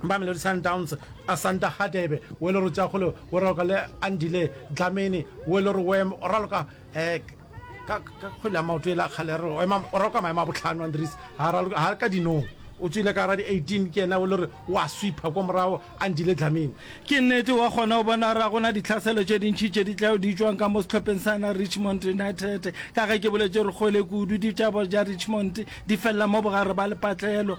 ba melodi sundowns a santa hadebe o e le gore o tša kgole o raloka le andile dlamini o e le gore o raloka ek ka ka kgwele ya maoto e la kgale re ema o ra kwa maemo a botlhano andres ha ra ha re ka dinong o tswile ka ra di 18 ke ena o le re wa sweeper kwa morago a ndile dlameng ke nnete wa kgona o bona ra gona ditlhaselo tše dintšhi tše di tlago di tšwang ka mo setlhopheng sa na richmond united ka ge ke boletše re kgwele kudu ditšabo ja richmond di felela mo bogare ba lepatlelo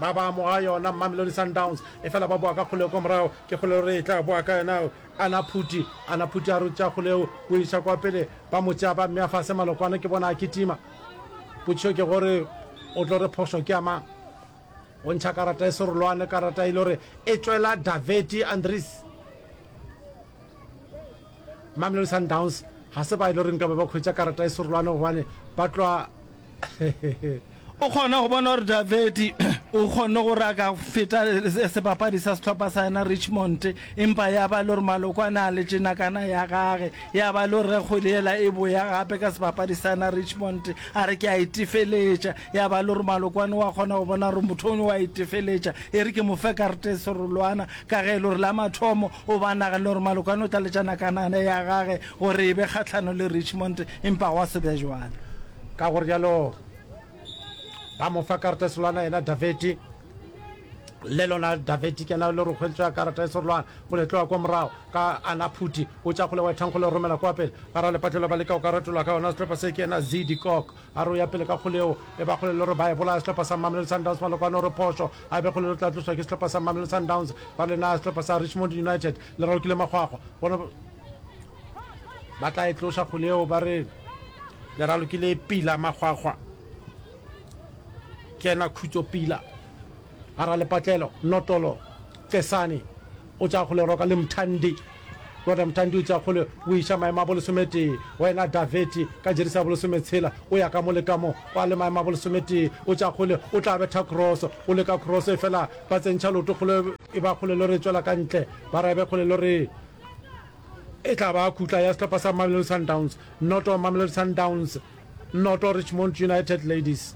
ba ba amoga yona Mamelodi Sundowns efela ba boa ka kgoleo kwa morago ke kgoleo re e tla boa ka yona ana phuti ana phuti a rutša kgoleo o iša kwa pele ba mo tšea ba mmea fase malokwane ke bona a kitima potšišo ke gore o tlo re phošo ke amang o ntšha karata e serolwane karata e le gore e tšwela daveti andres Mamelodi Sundowns ga se ba e le gore nka be ba hwetša karata e serolwane gobane ba tloa O kgona go bona gore Davedi o kgonne gore a ka feta sebapadi sa sehlopha sa yena Richmond, empa ya ba le gore maloko a na le tšenakana ya gage, ya ba le gore ge kgwedi ela e boya gape ka sebapadi sa yena Richmond, a re ke a e tefeletša. ya ba le gore malokwane wa kgona go bona gore motho o wa itefeletša e re ke mo fe karete e serolwana ka ge e le gore la mathomo o ba naganele gore malokwane o tla letšana kanane ya gage gore e be kgatlhano le richmond empa gwa se be jwana ka gore jalo ba mo fa karete e serolwana yena daveti le lona daveti kena le re kgweletswa karata e serolwana go le tloa kwa morago ka ana phuti o tša kgole wethang go le romela kwa pele ga ra lepatlelo ba leka go ka ratolwa ka yona setlhopha se ke ena zidi kok A re o ya pele ka kgole yeo e ba kgole le gore ba e bolaya sehlopha sa Mamelodi Sundowns Malokwane o re phošo a e be kgole le tla tloswa ke sehlopha sa Mamelodi Sundowns ba le naya sehlopha sa Richmond United le ralokile makgwakgwa bona ba tla e tloša kgole yeo ba re le ralokile e pila makgwakgwa ke ena khutso pila a ra lepatlelo notolo tesane o tša kgole roka le mthandi Tota Mthandi o itša kgole o iša maemo a bolesometee, wena Daveti ka jerisi ya bolesometshela o ya ka mo le ka mo, o a le maemo a bolesometee, o tša kgole o tla betha kroso, o le ka kroso efela ba tsentšha leoto kgole, e ba kgole lo re tšwela ka ntle, ba rabe kgole lo re e tla ba khutla ya sehlopha sa Mamelodi Sundowns, noto Mamelodi Sundowns. Noto Richmond United Ladies.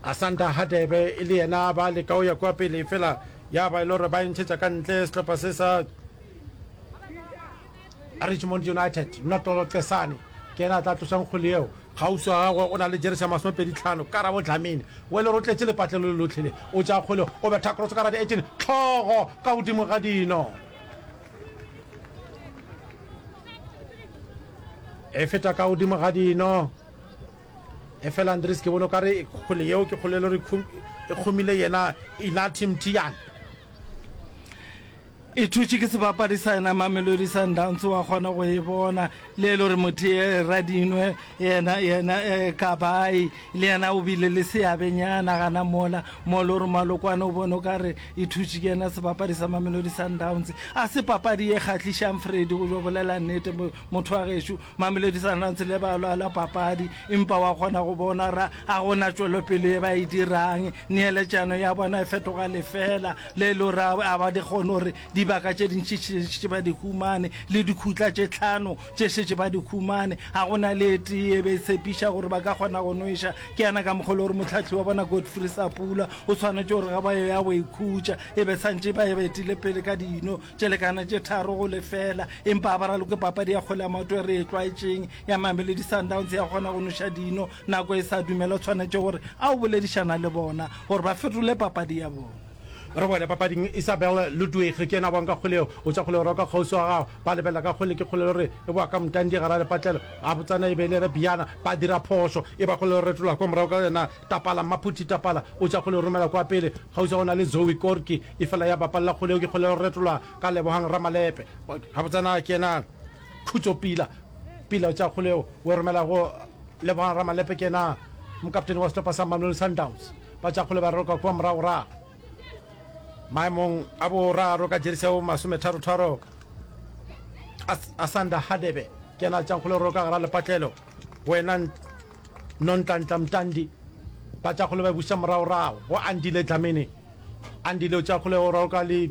Asanda Hadebe e le yena ba leka o ya kwa pele fela ya ba e le gore ba entšhetša ka ntle sehlopha se sa Richmond United Notolo Cesane ke ena a tla tlosang kgole eo gausi wa gagwe o na le jeresi ya masomepedi tlhano karabo dlamini o e le rotletše lepatlelo le lotlhele o tša kgole o betha cross ka radi eighteen tlhogo ka godimo ga dino e feta ka godimo ga dino e fela andres ke bone o kare kgole yeo ke kgolelo re e kgomile yena inati mtian e thutše ke sebapadi sa yena mamelodi sundowns wa kgona go e bona le e le gore motho ye radinwe yena yena eh, kabai le yena o bile le seabenyana gana mola mo le gore malokwane o bone o ka re e thutše ke yena sebapadi sa mamelodi sundowns a se papadi e kgatlhišang fredi go jo bolela nnete mo- motho wa gešo mamelodi sundowns le ba lwala papadi empa wa kgona go bona ra a gona tšwelopele e ba e dirang neeletšano ya bona e fetoga lefela le e le gore a- a ba di kgone gore Dibaka tše dintši tše šetše ba di humane, le dikhutla tše tlhano tše šetše ba di humane. Ga go na le e tee e be e tshepiša gore ba ka kgona go nweša. Ke yana ka mokgwa le gore mohlahli wa bona Godfrey Sapula o swanetše gore ge ba yo ya go ikhutša e be santše ba betile pele ka dino tše lekana tše tharo go lefela. Empa a ba raloke papadi ya kgwele ya maoto e re e tlwaetšeng ya Mamelodi Sundowns ya go kgona go nweša dino nako e sa dumela. O swanetše gore a yo boledišana le bona gore ba fetole papadi ya bona. Re boele papading. Isabel Ludwig ke yena a boang ka kgole yeo. O tša kgole gore o ka kgauswi wa gago. Ba lebelela ka kgole. Ke kgole lore e boa ka mtandi gara lepatlelo. Gabotsana e be e le Rebiana. Ba dira phošo. E ba kgole lore retola kwa morago ka yona. Tapala, Mmaphuti Tapala o tša kgole o romela kwa pele. Kgauswi go na le Zoe Korki. Efela ya bapalela kgole yeo ke kgole lore retola ka Lebogang Ramalepe. Gabotsana ke yena Khutso Pila. Pila o tša kgole yeo o e romela go Lebogang Ramalepe. Ke yena mokaptene wa sehlopa sa Mamelodi Sundowns. Batšakgole ba roka kua moragorago maemong a boraro ka jerisi ya bo masometharotharo. Asanda Hadebe ke yena a tšakgole roka gara lepatlelo wena Nontlantla Mtandi. Batšakgole ba busa moragorago go Andile Dlamini. Andile o tšakgole go roka le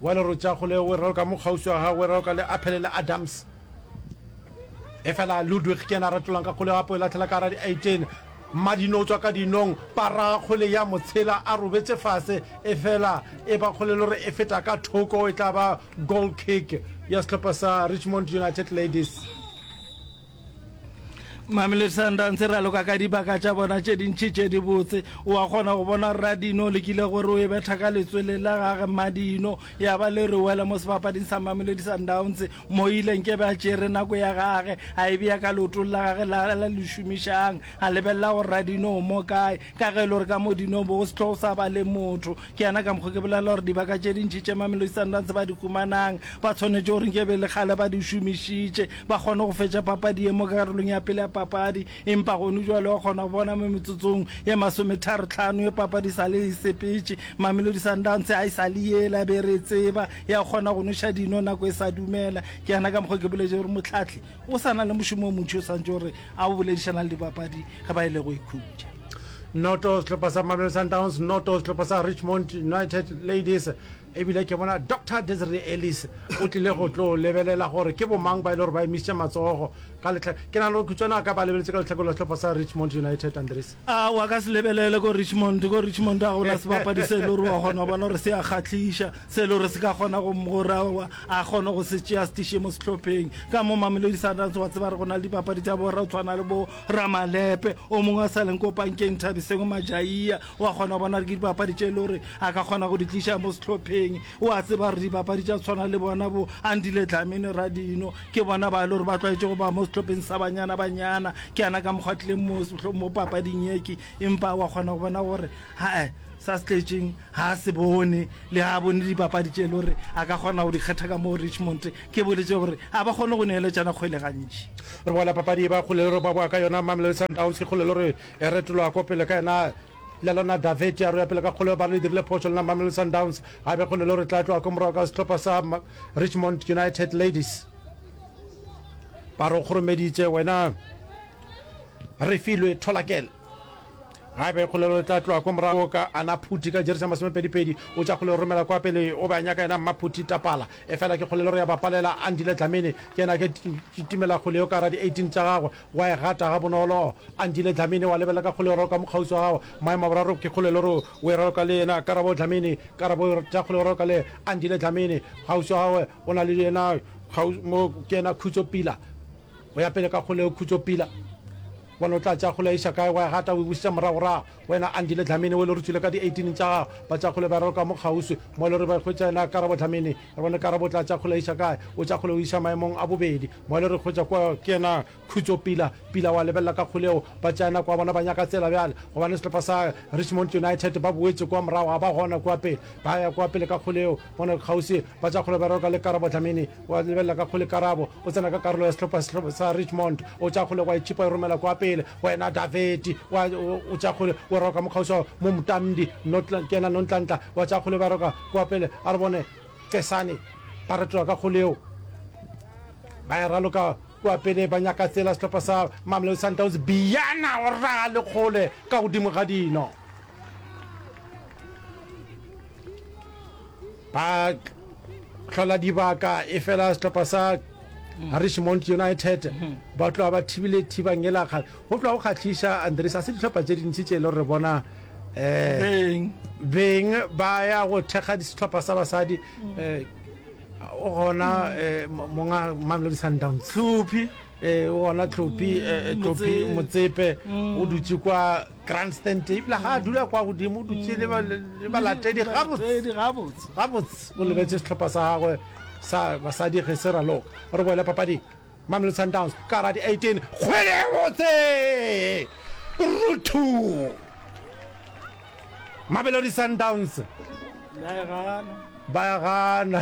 Wa lerotša go le weroka mo kgauswi wa gagwe weroka le Aphele le Adams. Efela Ludwig ke yena a retolang ka kgole gapo e latlhela ka ra di 18. Mmadino o tswa ka dinong, para kgole ya motshela a robetse fase efela e ba kgole lore e feta ka thoko e tla ba goal kick ya sehlopha sa Richmond United Ladies. mame le sundance ra loka ka dibaka tša bona tše dintšhi tše dibotse o a kgona go bona radino le kile gore o e betha ka letswele la gage madino ya ba le re wela mo sebapading sa mame le disundance mo ileng ke be a tšere nako ya gage a e bea ka leotong la gage la la lešomišang a lebelela go radino o mo kae Ka ge e le gore ka mo Dinobo go sehlogo sa ba le motho, ke yana ka mokgo ke bolela gore dibaka tše dintši tše Mamelodi Sundowns ba di humanang ba swanetše gore nke e be e le kgale ba di šomišitše, ba kgone go fetša papadi ye mo karolong ya pele ya papadi, empa gonu bjale wa kgona go bona mo metsotsong ye masometharo-tlhano ye papadi e sa le e sepetše, Mamelodi Sundowns ga e sa le yela be re e tseba ya go kgona go nweša dino nako e sa dumela, ke yana ka mokgo ke boletšego gore Mohlahli O sa na le mošomo o montši o swantše gore a o boledišana le dibapadi ge ba e le go ikhutša. Noto sehlopha sa Mamelodi Sundowns, noto sehlopha sa Richmond United Ladies. Ebile ke bona Doctor Desiree Ellis o tlile go tlo lebelela gore ke bomang ba e le gore ba emisitše matsogo ka letlha. Ke nagana gore Khutswane a ka ba lebeletse ka lehlakoreng la sehlopha sa Richmond United, Andries. A wa ka se lebelele ko Richmond, ko Richmond a gona sebapadi se le gore wa kgona bona gore se a kgatlhiša, se le gore se ka kgona go gore a kgone go se tšea stishe mo sehlopheng. Ka mo Mamelodi Sundowns wa tseba re gona le dibapadi tsa bora o tshwana le bo Ramalepe, o mongwe a sa leng ko pankeng Thabiseng Majaia, wa kgona bona re ke dibapadi tše le gore a ka kgona go di tliša mo sehlopheng. Wa tseba re dibapadi tša tshwana le bona bo Andile Dlamini Radino, Ke bona ba e le gore ba tlwaetše go ba mo sehlopheng sa banyana-banyana. Ke yana ka mokgwa tlileng mo, mo papading yeki, empa wa kgona go bona gore hae sa se tletšeng ga a se bone, le ga a bone dipapadi tše e le gore a ka kgona go di kgetha ka moo Richmond. Ke boletše gore ga ba kgone go neeletšana kgwele gantši. Re boela papadi e ba kgole le gore ba boa ka yona Mamelodi Sundowns, ke kgole le gore e retoloa ko pele ka yena le lona Daveti a roya pele ka kgole ba re le dirile phošo lena Mamelodi Sundowns, gape kgole le gore tla tloa ko morago ka sehlopha sa Richmond United Ladies ba re kgoromeditše wena Refilwe Tholakele ga be kgolelo le tla tloa ko morago ka ana phuti ka jerisa masomepedipedi o tša kgolelo romela kwa pele o be a nyaka yena mmaphuti tapala efela ke kgolelo re ya bapalela andile dlamini ke yena ke timela kgoleo ka ra di-18 tša gagwe Wa e gata gabonolo. Andile Dlamini wa lebelela ka kgolero ka mokgauswi wa gago. Maema boraro ke kgoleloro. O e raloka le yena. Karabo Dlamini Karabo o tla kgoleroka le Andile Dlamini. Kgauswi wa gagwe o na le yena kgauswi mo ke yena Khutso Pila. O ya pele ka kgoleo Khutso Pila. Bona o tla tšea kgoleo a iša kae. Wa e gata o e busetsa moragorago. Wena Andile Dlamini o e le gore tswile ka di 18 tša gago ba tša kgole ba re ka mo kgauswi mo e le gore ba hwetša yena Karabo Dlamini re bone Karabo tla tša kgole iša kae o tša kgole o iša maemong a bobedi mo e le gore hwetša kwa ke yena Khutso Pila Pila wa lebelela ka kgoleo ba tša yena kwa bona ba nyaka tsela bjale gobane sehlopha sa Richmond United ba boetše kwa morago ga ba gona kwa pele ba ya kwa pele ka kgoleo bona kgauswi ba tša kgole ba re ka le Karabo Dlamini wa lebelela ka kgole Karabo o tsena ka karolo ya sehlopha sa Richmond o tša kgole kwa e tšhipa e romela kwa pele Wena Davidi, wa, o tša kgole, wa roka mokgauswa mo Mtamdi, notla, kena nontlantla, wa tša kgole ba roka kua pele, a re bone Kesane, ba retola ka kgoleo, ba ya raloka kua pele, ba nyaka tsela sehlopha sa Mamelodi Sundowns, Biyana o raga le kgole ka godimo ga dino. Ba hlola dibaka, e fela sehlopha sa a re Mount United ba tloa ba thibile thiba ngelakga go tloa go kgatlhiša andres a se dihlopha tše dintši tše e le gore bona um beng ba ya go thekga sehlopha sa basadi um o gona um monga mamelodi sundowns tlhophi um o gona tlhophi um tlhophi motsepe o dutse kwa Grandstand ebile ga a dula kwa godimo o dutse le ba- le le balatedi gabotse gabotse gabotse o lebetse setlhopha sa gagwe sa basadi ge se raloka re boele papading mamelodi sundowns ka ra di-18 kgwele e botse ruthu mamelodi sundowns ba ya gana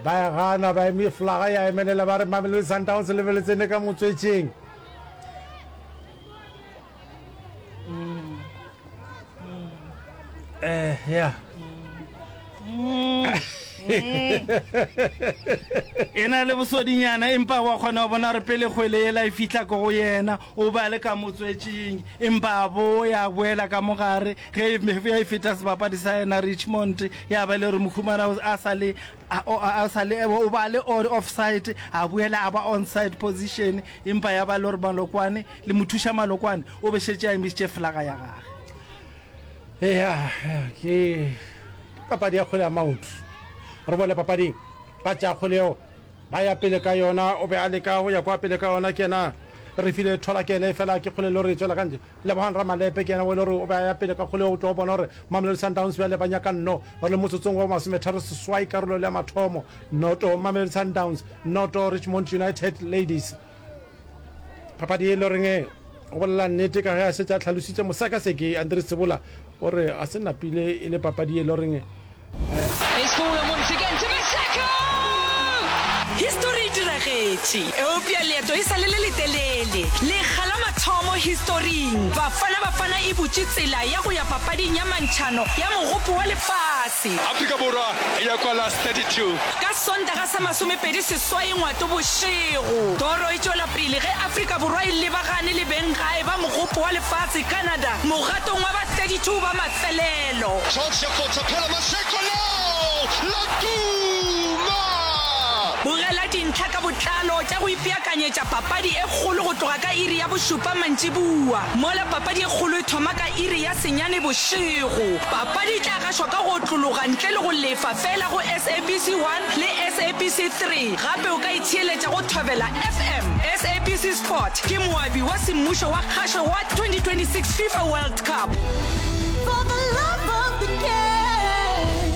ba ya gana ba eme flaga ya emelela ba re mamelodi sundowns lebeletsene ka motswetšeng eh ya e na le bosodinyana empa wa kgona go bona gore pele kgwele ela e fitlha ko go yena o ba le ka motswetšeng empa bo ya boela ka mogare ge ya e feta sebapadi sa yena richmond ya ba le gore mokhumana a sa le a- o- a- a sa le o ba le o- offside a boela a ba onside position empa ya ba le gore malokwane le mothuša malokwane o be šetse a emisitše flaga ya gage eya ke papadi ya kgole ya maoto re bone papading ba tša kgole yeo ba ya pele ka yona o be a leka go ya kwa pele ka yona ke yena re file thola ke ene fela ke kgole lo re tswela ka ntle Lebogang Ramalepe ke yena o e le gore o be a ya pele ka kgolego. O tlo bona gore Mamelodi Sundowns bjale ba nyaka nno. Ba le motsotsong wa bomashometharo seswai karolong ya mathomo. Noto Mamelodi Sundowns, noto Richmond United Ladies. Papadi e le goreng go bolela nnete ka ge a šetše a tlhalositše mosekaseki Andri Tsibula. O re a se napile e le papadi e loreng. Histori e diragetše, eupša leeto e sa le le letelele. Lekga la mathomo historing, Bafana Bafana e butše tsela ya go ya papading ya mantšhano ya Mogopo wa Lefase. Afrika Borwa e ya kwa last 32. Ka Sontaga sa masomepedi seswai ngwato bošego, toro e tšwela pele ge Afrika Borwa e lebagane le beng gae ba mogopo wa lefatshe Canada mogatong wa ba 32 ba mafelelo. George Potsaphela Maseko leo la tuma! Bogela dintlha ka botlalo tša go ipeakanyetša papadi e kgolo go tloga ka iri ya bošupa mantšiboa, mola papadi e kgolo e thoma ka iri ya senyane bošego. Papadi e tla ka šwa ka go otlologa ntle le go lefa feela go SABC 1 le SABC 3. Gape o ka itheeletša go Thobela FM. SABC Sport ke moabi wa semmušo wa kgašo wa 2026 Fifa World Cup. For the love of the game.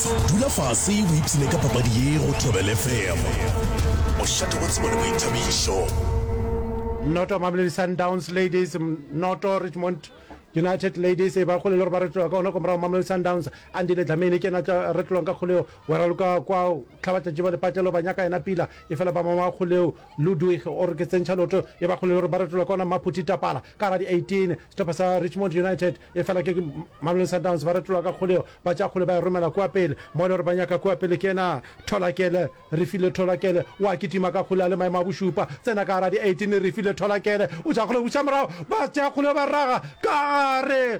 Dula fase o ipshine ka papadi ye go Thobela FM. O šate go tsebo le boithabišo. Noto Mamelodi Sundowns Ladies noto Richmond United Ladies e ba kgole le gore ba re tloga ka gona kwa morago Mamelodi Sundowns a ndile dlamene ke ena tla re tlolong ka kgoleo wa raloka kwa tlhabatlatši ba lepatlelo ba nyaka ena pila e fela ba mama kgoleo Ludwig o re ke tsentšha loto e ba kgole le gore ba retolwa ke ona Maphuti Tapala ka ga di 18. Sehlopha sa Richmond United e fela ke Mamelodi Sundowns ba retolwa ka kgoleo ba tša kgole ba e romela kua pele mo e le gore ba nyaka kua pele ke ena Tholakele Refilwe Tholakele o a kitima ka kgole a le maemo a bošupa tsena ka ga di 18 Refilwe Tholakele o tša kgole buša morago ba tša kgole ba raga ka gare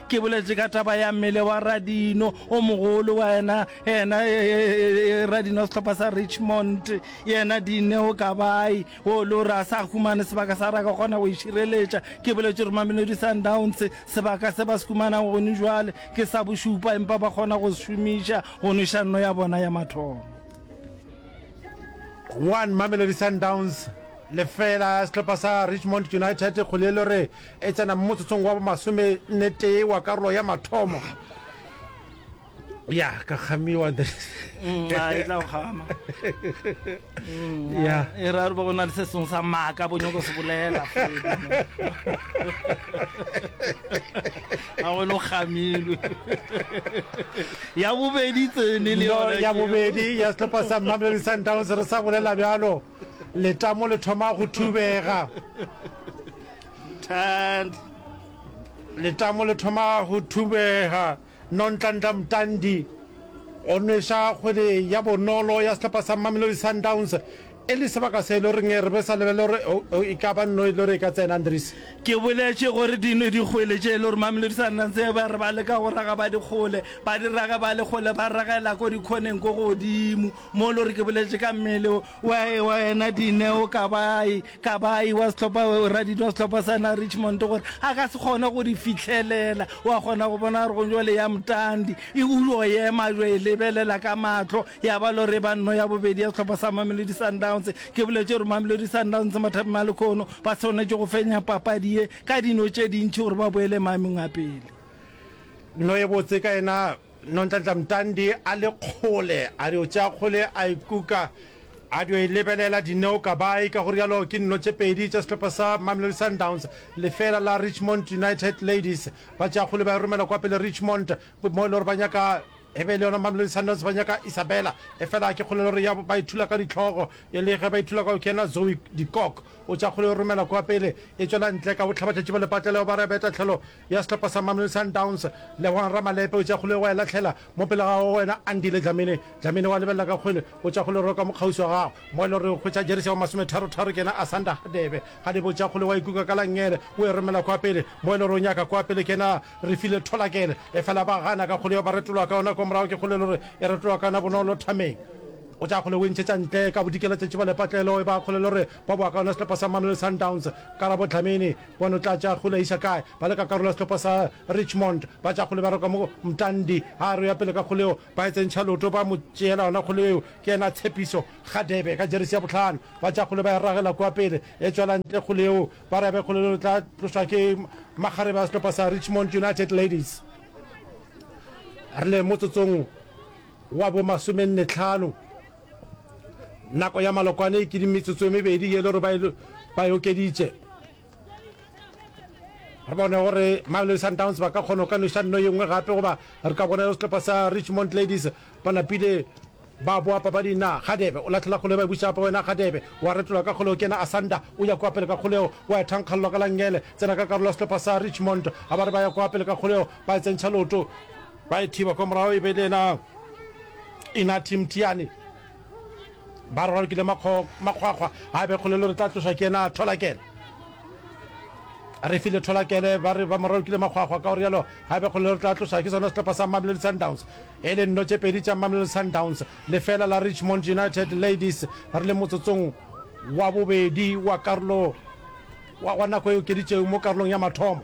Ke boletše ka taba ya mmele wa Radino o mogolo wa yena yena e, e, e, Radino sehlopha sa Richmond yena Dineo Kabai o le gore a sa humane sebaka sa ra ka kgona go išireletša ke boletše gore Mamelodi Sundowns sebaka se ba se humana gone jwale ke sa bošupa empa ba kgona go se šomiša go nweša nno ya bona ya mathomo one Mamelodi Sundowns lefela sehlopha sa Richmond United kgole e le gore e tsena mmotsotsong wa bomasomennetee wa karolo ya mathomo ya ka kgamiwa mm, e tla kgama ya e ra re ba gona le se sengwe sa maaka bo nyoko se bolela a go lo gamilwe ya bobedi tsene le ya bobedi ya setlhopha sa mamelodi sundowns re sa bolela bjalo Letamo le thoma go thubega. Thand. Letamo le thoma go thubega. Nontlantla Mtandi o nweša kgwele ya bonolo ya sehlapa sa Mamelodi Sundowns e le sebaka se e le goreng re be sa lebele gore oh, oh, e ka ba nno e le gore e ka tsena andres ke boletše gore dino dikgwele tše e le gore mamelodi sundowns e ba re ba leka go raga ba dikgole ba di rage ba lekgole ba ragela ko dikhoneng ko godimo Mo lo re ke boletše ka mmele wa wa ena Dineo Kabayi, Kabayi wa sehlopha Radidi wa sehlopha sa na Richmond gore a ka se kgone go di fihlelela. Wa kgona go bona gore go jwale ya Mtandi e o yo ema jo e lebelela ka mahlo ya ba lo re ba nno ya bobedi ya sehlopha sa Mamelodi Sundowns. Ke boletše gore Mamelodi Sundowns Mathabi Malekhono ba swanetše go fenya papadi ye ka dino tše dintši gore ba boele maemong a pele. No e botse ka ena Nontlantla Mtandi a le kgole, a dio tšea kgole a e kuka, a dio e lebelela Dineo Kabayi. Ka go rialo ke dino tše pedi tša sehlopha sa Mamelodi Sundowns lefeela la Richmond United Ladies. Ba tšea kgole ba e romela kwa pele Richmond mo e le gore ba nyaka e be e le yona Mamelodi Sundowns ba nyaka Isabella, efela ke kgole e le gore ya ba e thula ka dihlogo. E le ge ba e thula ka go kena, Zoe Dikok o tšea kgole o e romela kwa pele e tšwela ntle ka bohlabatšatši ba lepatleleo ba re beta tlholo ya sehlopha sa Mamelodi Sundowns, Lebogang Ramalepe o tšea kgole wa e lahlela mo pele ga wena Andile Dlamini. Dlamini wa lebelela ka kgole, o tšea kgole o roka mo kgauswi wa gago mo e le gore o hwetša jeresi ya bo masometharotharo ke yena Asanda Hadebe. Hadebe o tšea kgole wa e kuka ka langele o e romela kwa pele mo e le gore o nyaka kwa pele ke yena Refilwe Tholakele efela ba gana ka kgole yeo ba retologa ka yona kwa morago ke kgole e le gore e retologa ka yona Bonolo Thameng. O tšea kgole o e ntšhetša ntle ka bodikela tša tšiba lepatlelo e ba kgole e le gore ba bowa ka yona sehlopha sa Mamelodi Sundowns, Karabo Dlamini. Pono, Tla tša kgole a iša kae? Ba le ka karolo ya sehlopha sa Richmond, ba tša kgole ba roka mo Mtandi. A re o ya pele ka kgole yeo, ba e tsentšha loto, ba mo tšeela yona kgole yeo. Ke yena a Tshepiso Kgadebe ka jeresi ya bohlano. Ba tša kgole ba e ragela kua pele, e tšwela ntle kgole yeo. Ba re ya be kgole yeo e tla tlošwa ke makgarebe a sehlopha sa Richmond United Ladies. Re le motsotsong wa bo masomenne tlhano. nako ya malokwane e kedi metsotso e mebedi ye le gore ba e okeditše re bone gore mamelodi sundowns ba ka kgona go ka noša nno ye nngwe gape goba re ka bona setlhopha sa richmond ladies ba napile ba boa papadi na gadebe o latlhela kgolo ba buša apa wena gadebe wa retola ka kgoleo kena asanda o ya kwa pele ka kgoleo wa e thankgalelwa ka langele tsena ka karolo ya setlhopha sa richmond ga ba re ba ya kwa pele ka kgoleo ba e tsentšha loto Ba e thiba kwa morago e be e le yena Inathi Mthiane. Ba re ba lokile makgwakgwa a be kgolelo re tla tlošwa ke yena Tholakele. Re file Tholakele ba re ba mo ralokile makgwakgwa ka go rialo a be kgolelo re tla tlošwa ke sona sehlopha sa Mamelodi Sundowns e le nno tše pedi tša Mamelodi Sundowns lefela la Richmond United Ladies. Re le motsotsong wa bobedi wa karolo wa nako e okeditšego mo karolong ya mathomo.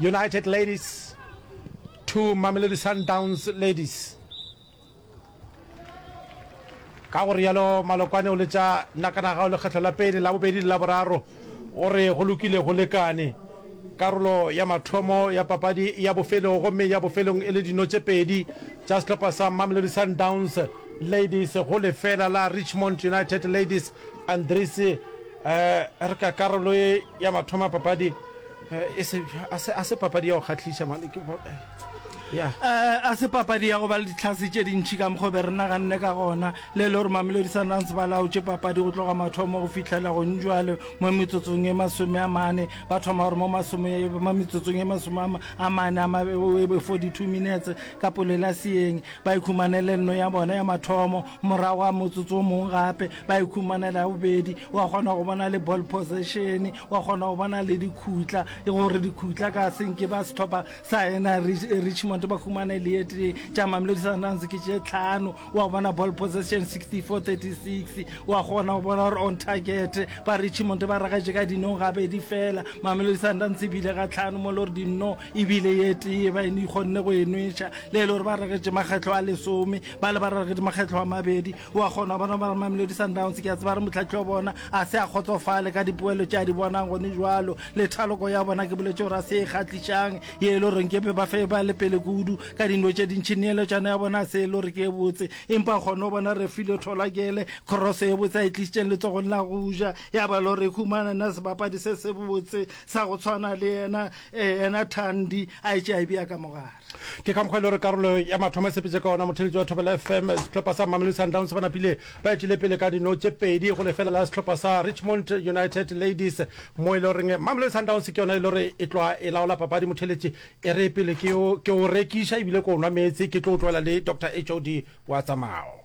United Ladies to Mamelodi Sundowns Ladies. Ka go rialo Malokwane o letša Nakanagao lekgetlo la pele, la bobedi le la boraro. O re go lokile go lekane. Karolo ya mathomo ya papadi ya bofelong gomme ya bofelong e le dino tše pedi tša sehlopha sa Mamelodi Sundowns Ladies go lefela la Richmond United Ladies. Andries, eh, re ka karolo ya mathomo ya papadi A se, a se, a se papadi ya go kgahliša, mane ke bo, ya. A, a se papadi ya go ba le ditlhase tše dintši ka mokgwa o be re naganne ka gona, le le gore Mamelodi Sundowns ba laotše papadi go tloga mathomo go fihlela gonjwale mo metsotsong e masome a mane. Ba thoma gore mo masome, mo metsotsong e masome a ma, a mane, a ma, e be 42 minutes ka polelaseyeng, ba ikhumanele nno ya bona ya mathomo, morago ga motsotso o mongwe gape ba ikhumanela ya bobedi, wa kgona go bona le ball possession, wa kgona go bona le dikhutla e gore dikhutla ka senke ba sethopa sa ena richmond ba humane le ete tša mamelodi sundowns ke tše tlhano wa bona ball possession 6436 wa kgona go bona gore on target ba richmond ba ragatše ka dinong gabedi fela mamelodi sundowns ebile ga tlhano mo le gore dinno ebile ye tee ba ene ikgonne go enweša le e le gore ba ragetše makgetlho a lesome ba le ba ragetše makgetlho a mabedi wa kgona bona ba re mamelodi sundowns ke a tseba re motlhatlhi wa bona a se a kgotsofale ka dipoelo tše a di bonang gone jalo le thaloko ya bona ke boletse gore a se e kgatlišang ye e le goreng kepe ba fe ba le pele kudu ka dino tše dintšhi neeletšano ya bona a se e le gore ke e botse empa kgone go bona re file tholakele crosso e botse a e tlišitseng letsogong la go ja ya ba le gore e humana na sebapadi se se botse sa go tshwana le yena um yena thandi a e tše a e bea ka mogare Ke ka mokgwa e le gore karolo ya mathomo e sepetše ka ona motheletši wa Thobela FM. Sehlopha sa Mamelodi Sundowns ba napile ba etšile pele ka dino tše pedi go lefela la sehlopha sa Richmond United Ladies mo e le goreng Mamelodi Sundowns ke yona e le gore e tloa e laola papadi. Motheletši e re pele ke o ke o rekiša ebile ke o nwa meetse ke tlo o tloela le Doctor HOD wa tsa mao.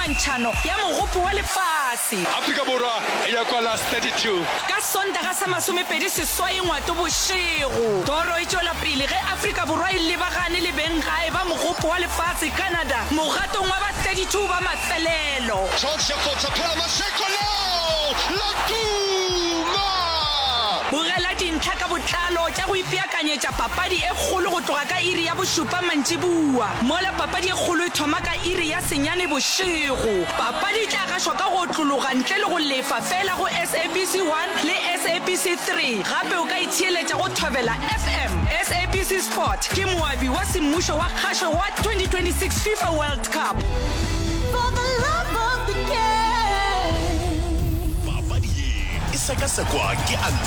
Ntšhano ya Mogopo wa Lefase. Afrika Borwa e ya kwa Last 32. Ka Sontaga sa masomepedi seswai ngwato bošego, toro e tšwela pele ge Afrika Borwa e lebagane le beng gae ba Mogopo wa Lefase, Canada, mogatong wa ba 32 ba mafelelo. George Lefotha phela Mashego leo la tuma! Bogela dintlha ka botlalo tša go ipeakanyetša papadi e kgolo go tloga ka iri ya bošupa mantšiboa, mola papadi e kgolo e thoma ka iri ya. Senyane bošego. Papadi e tla gašwa ka go otlologa ntle le go lefa fela go SABC 1 le SABC 3. Gape o ka itheeletša go Thobela FM. SABC Sport ke moabi wa semmušo wa kgašo wa 2026 FIFA World Cup. For the love of the game. Papadi ye e sekasekwa ke Antonio.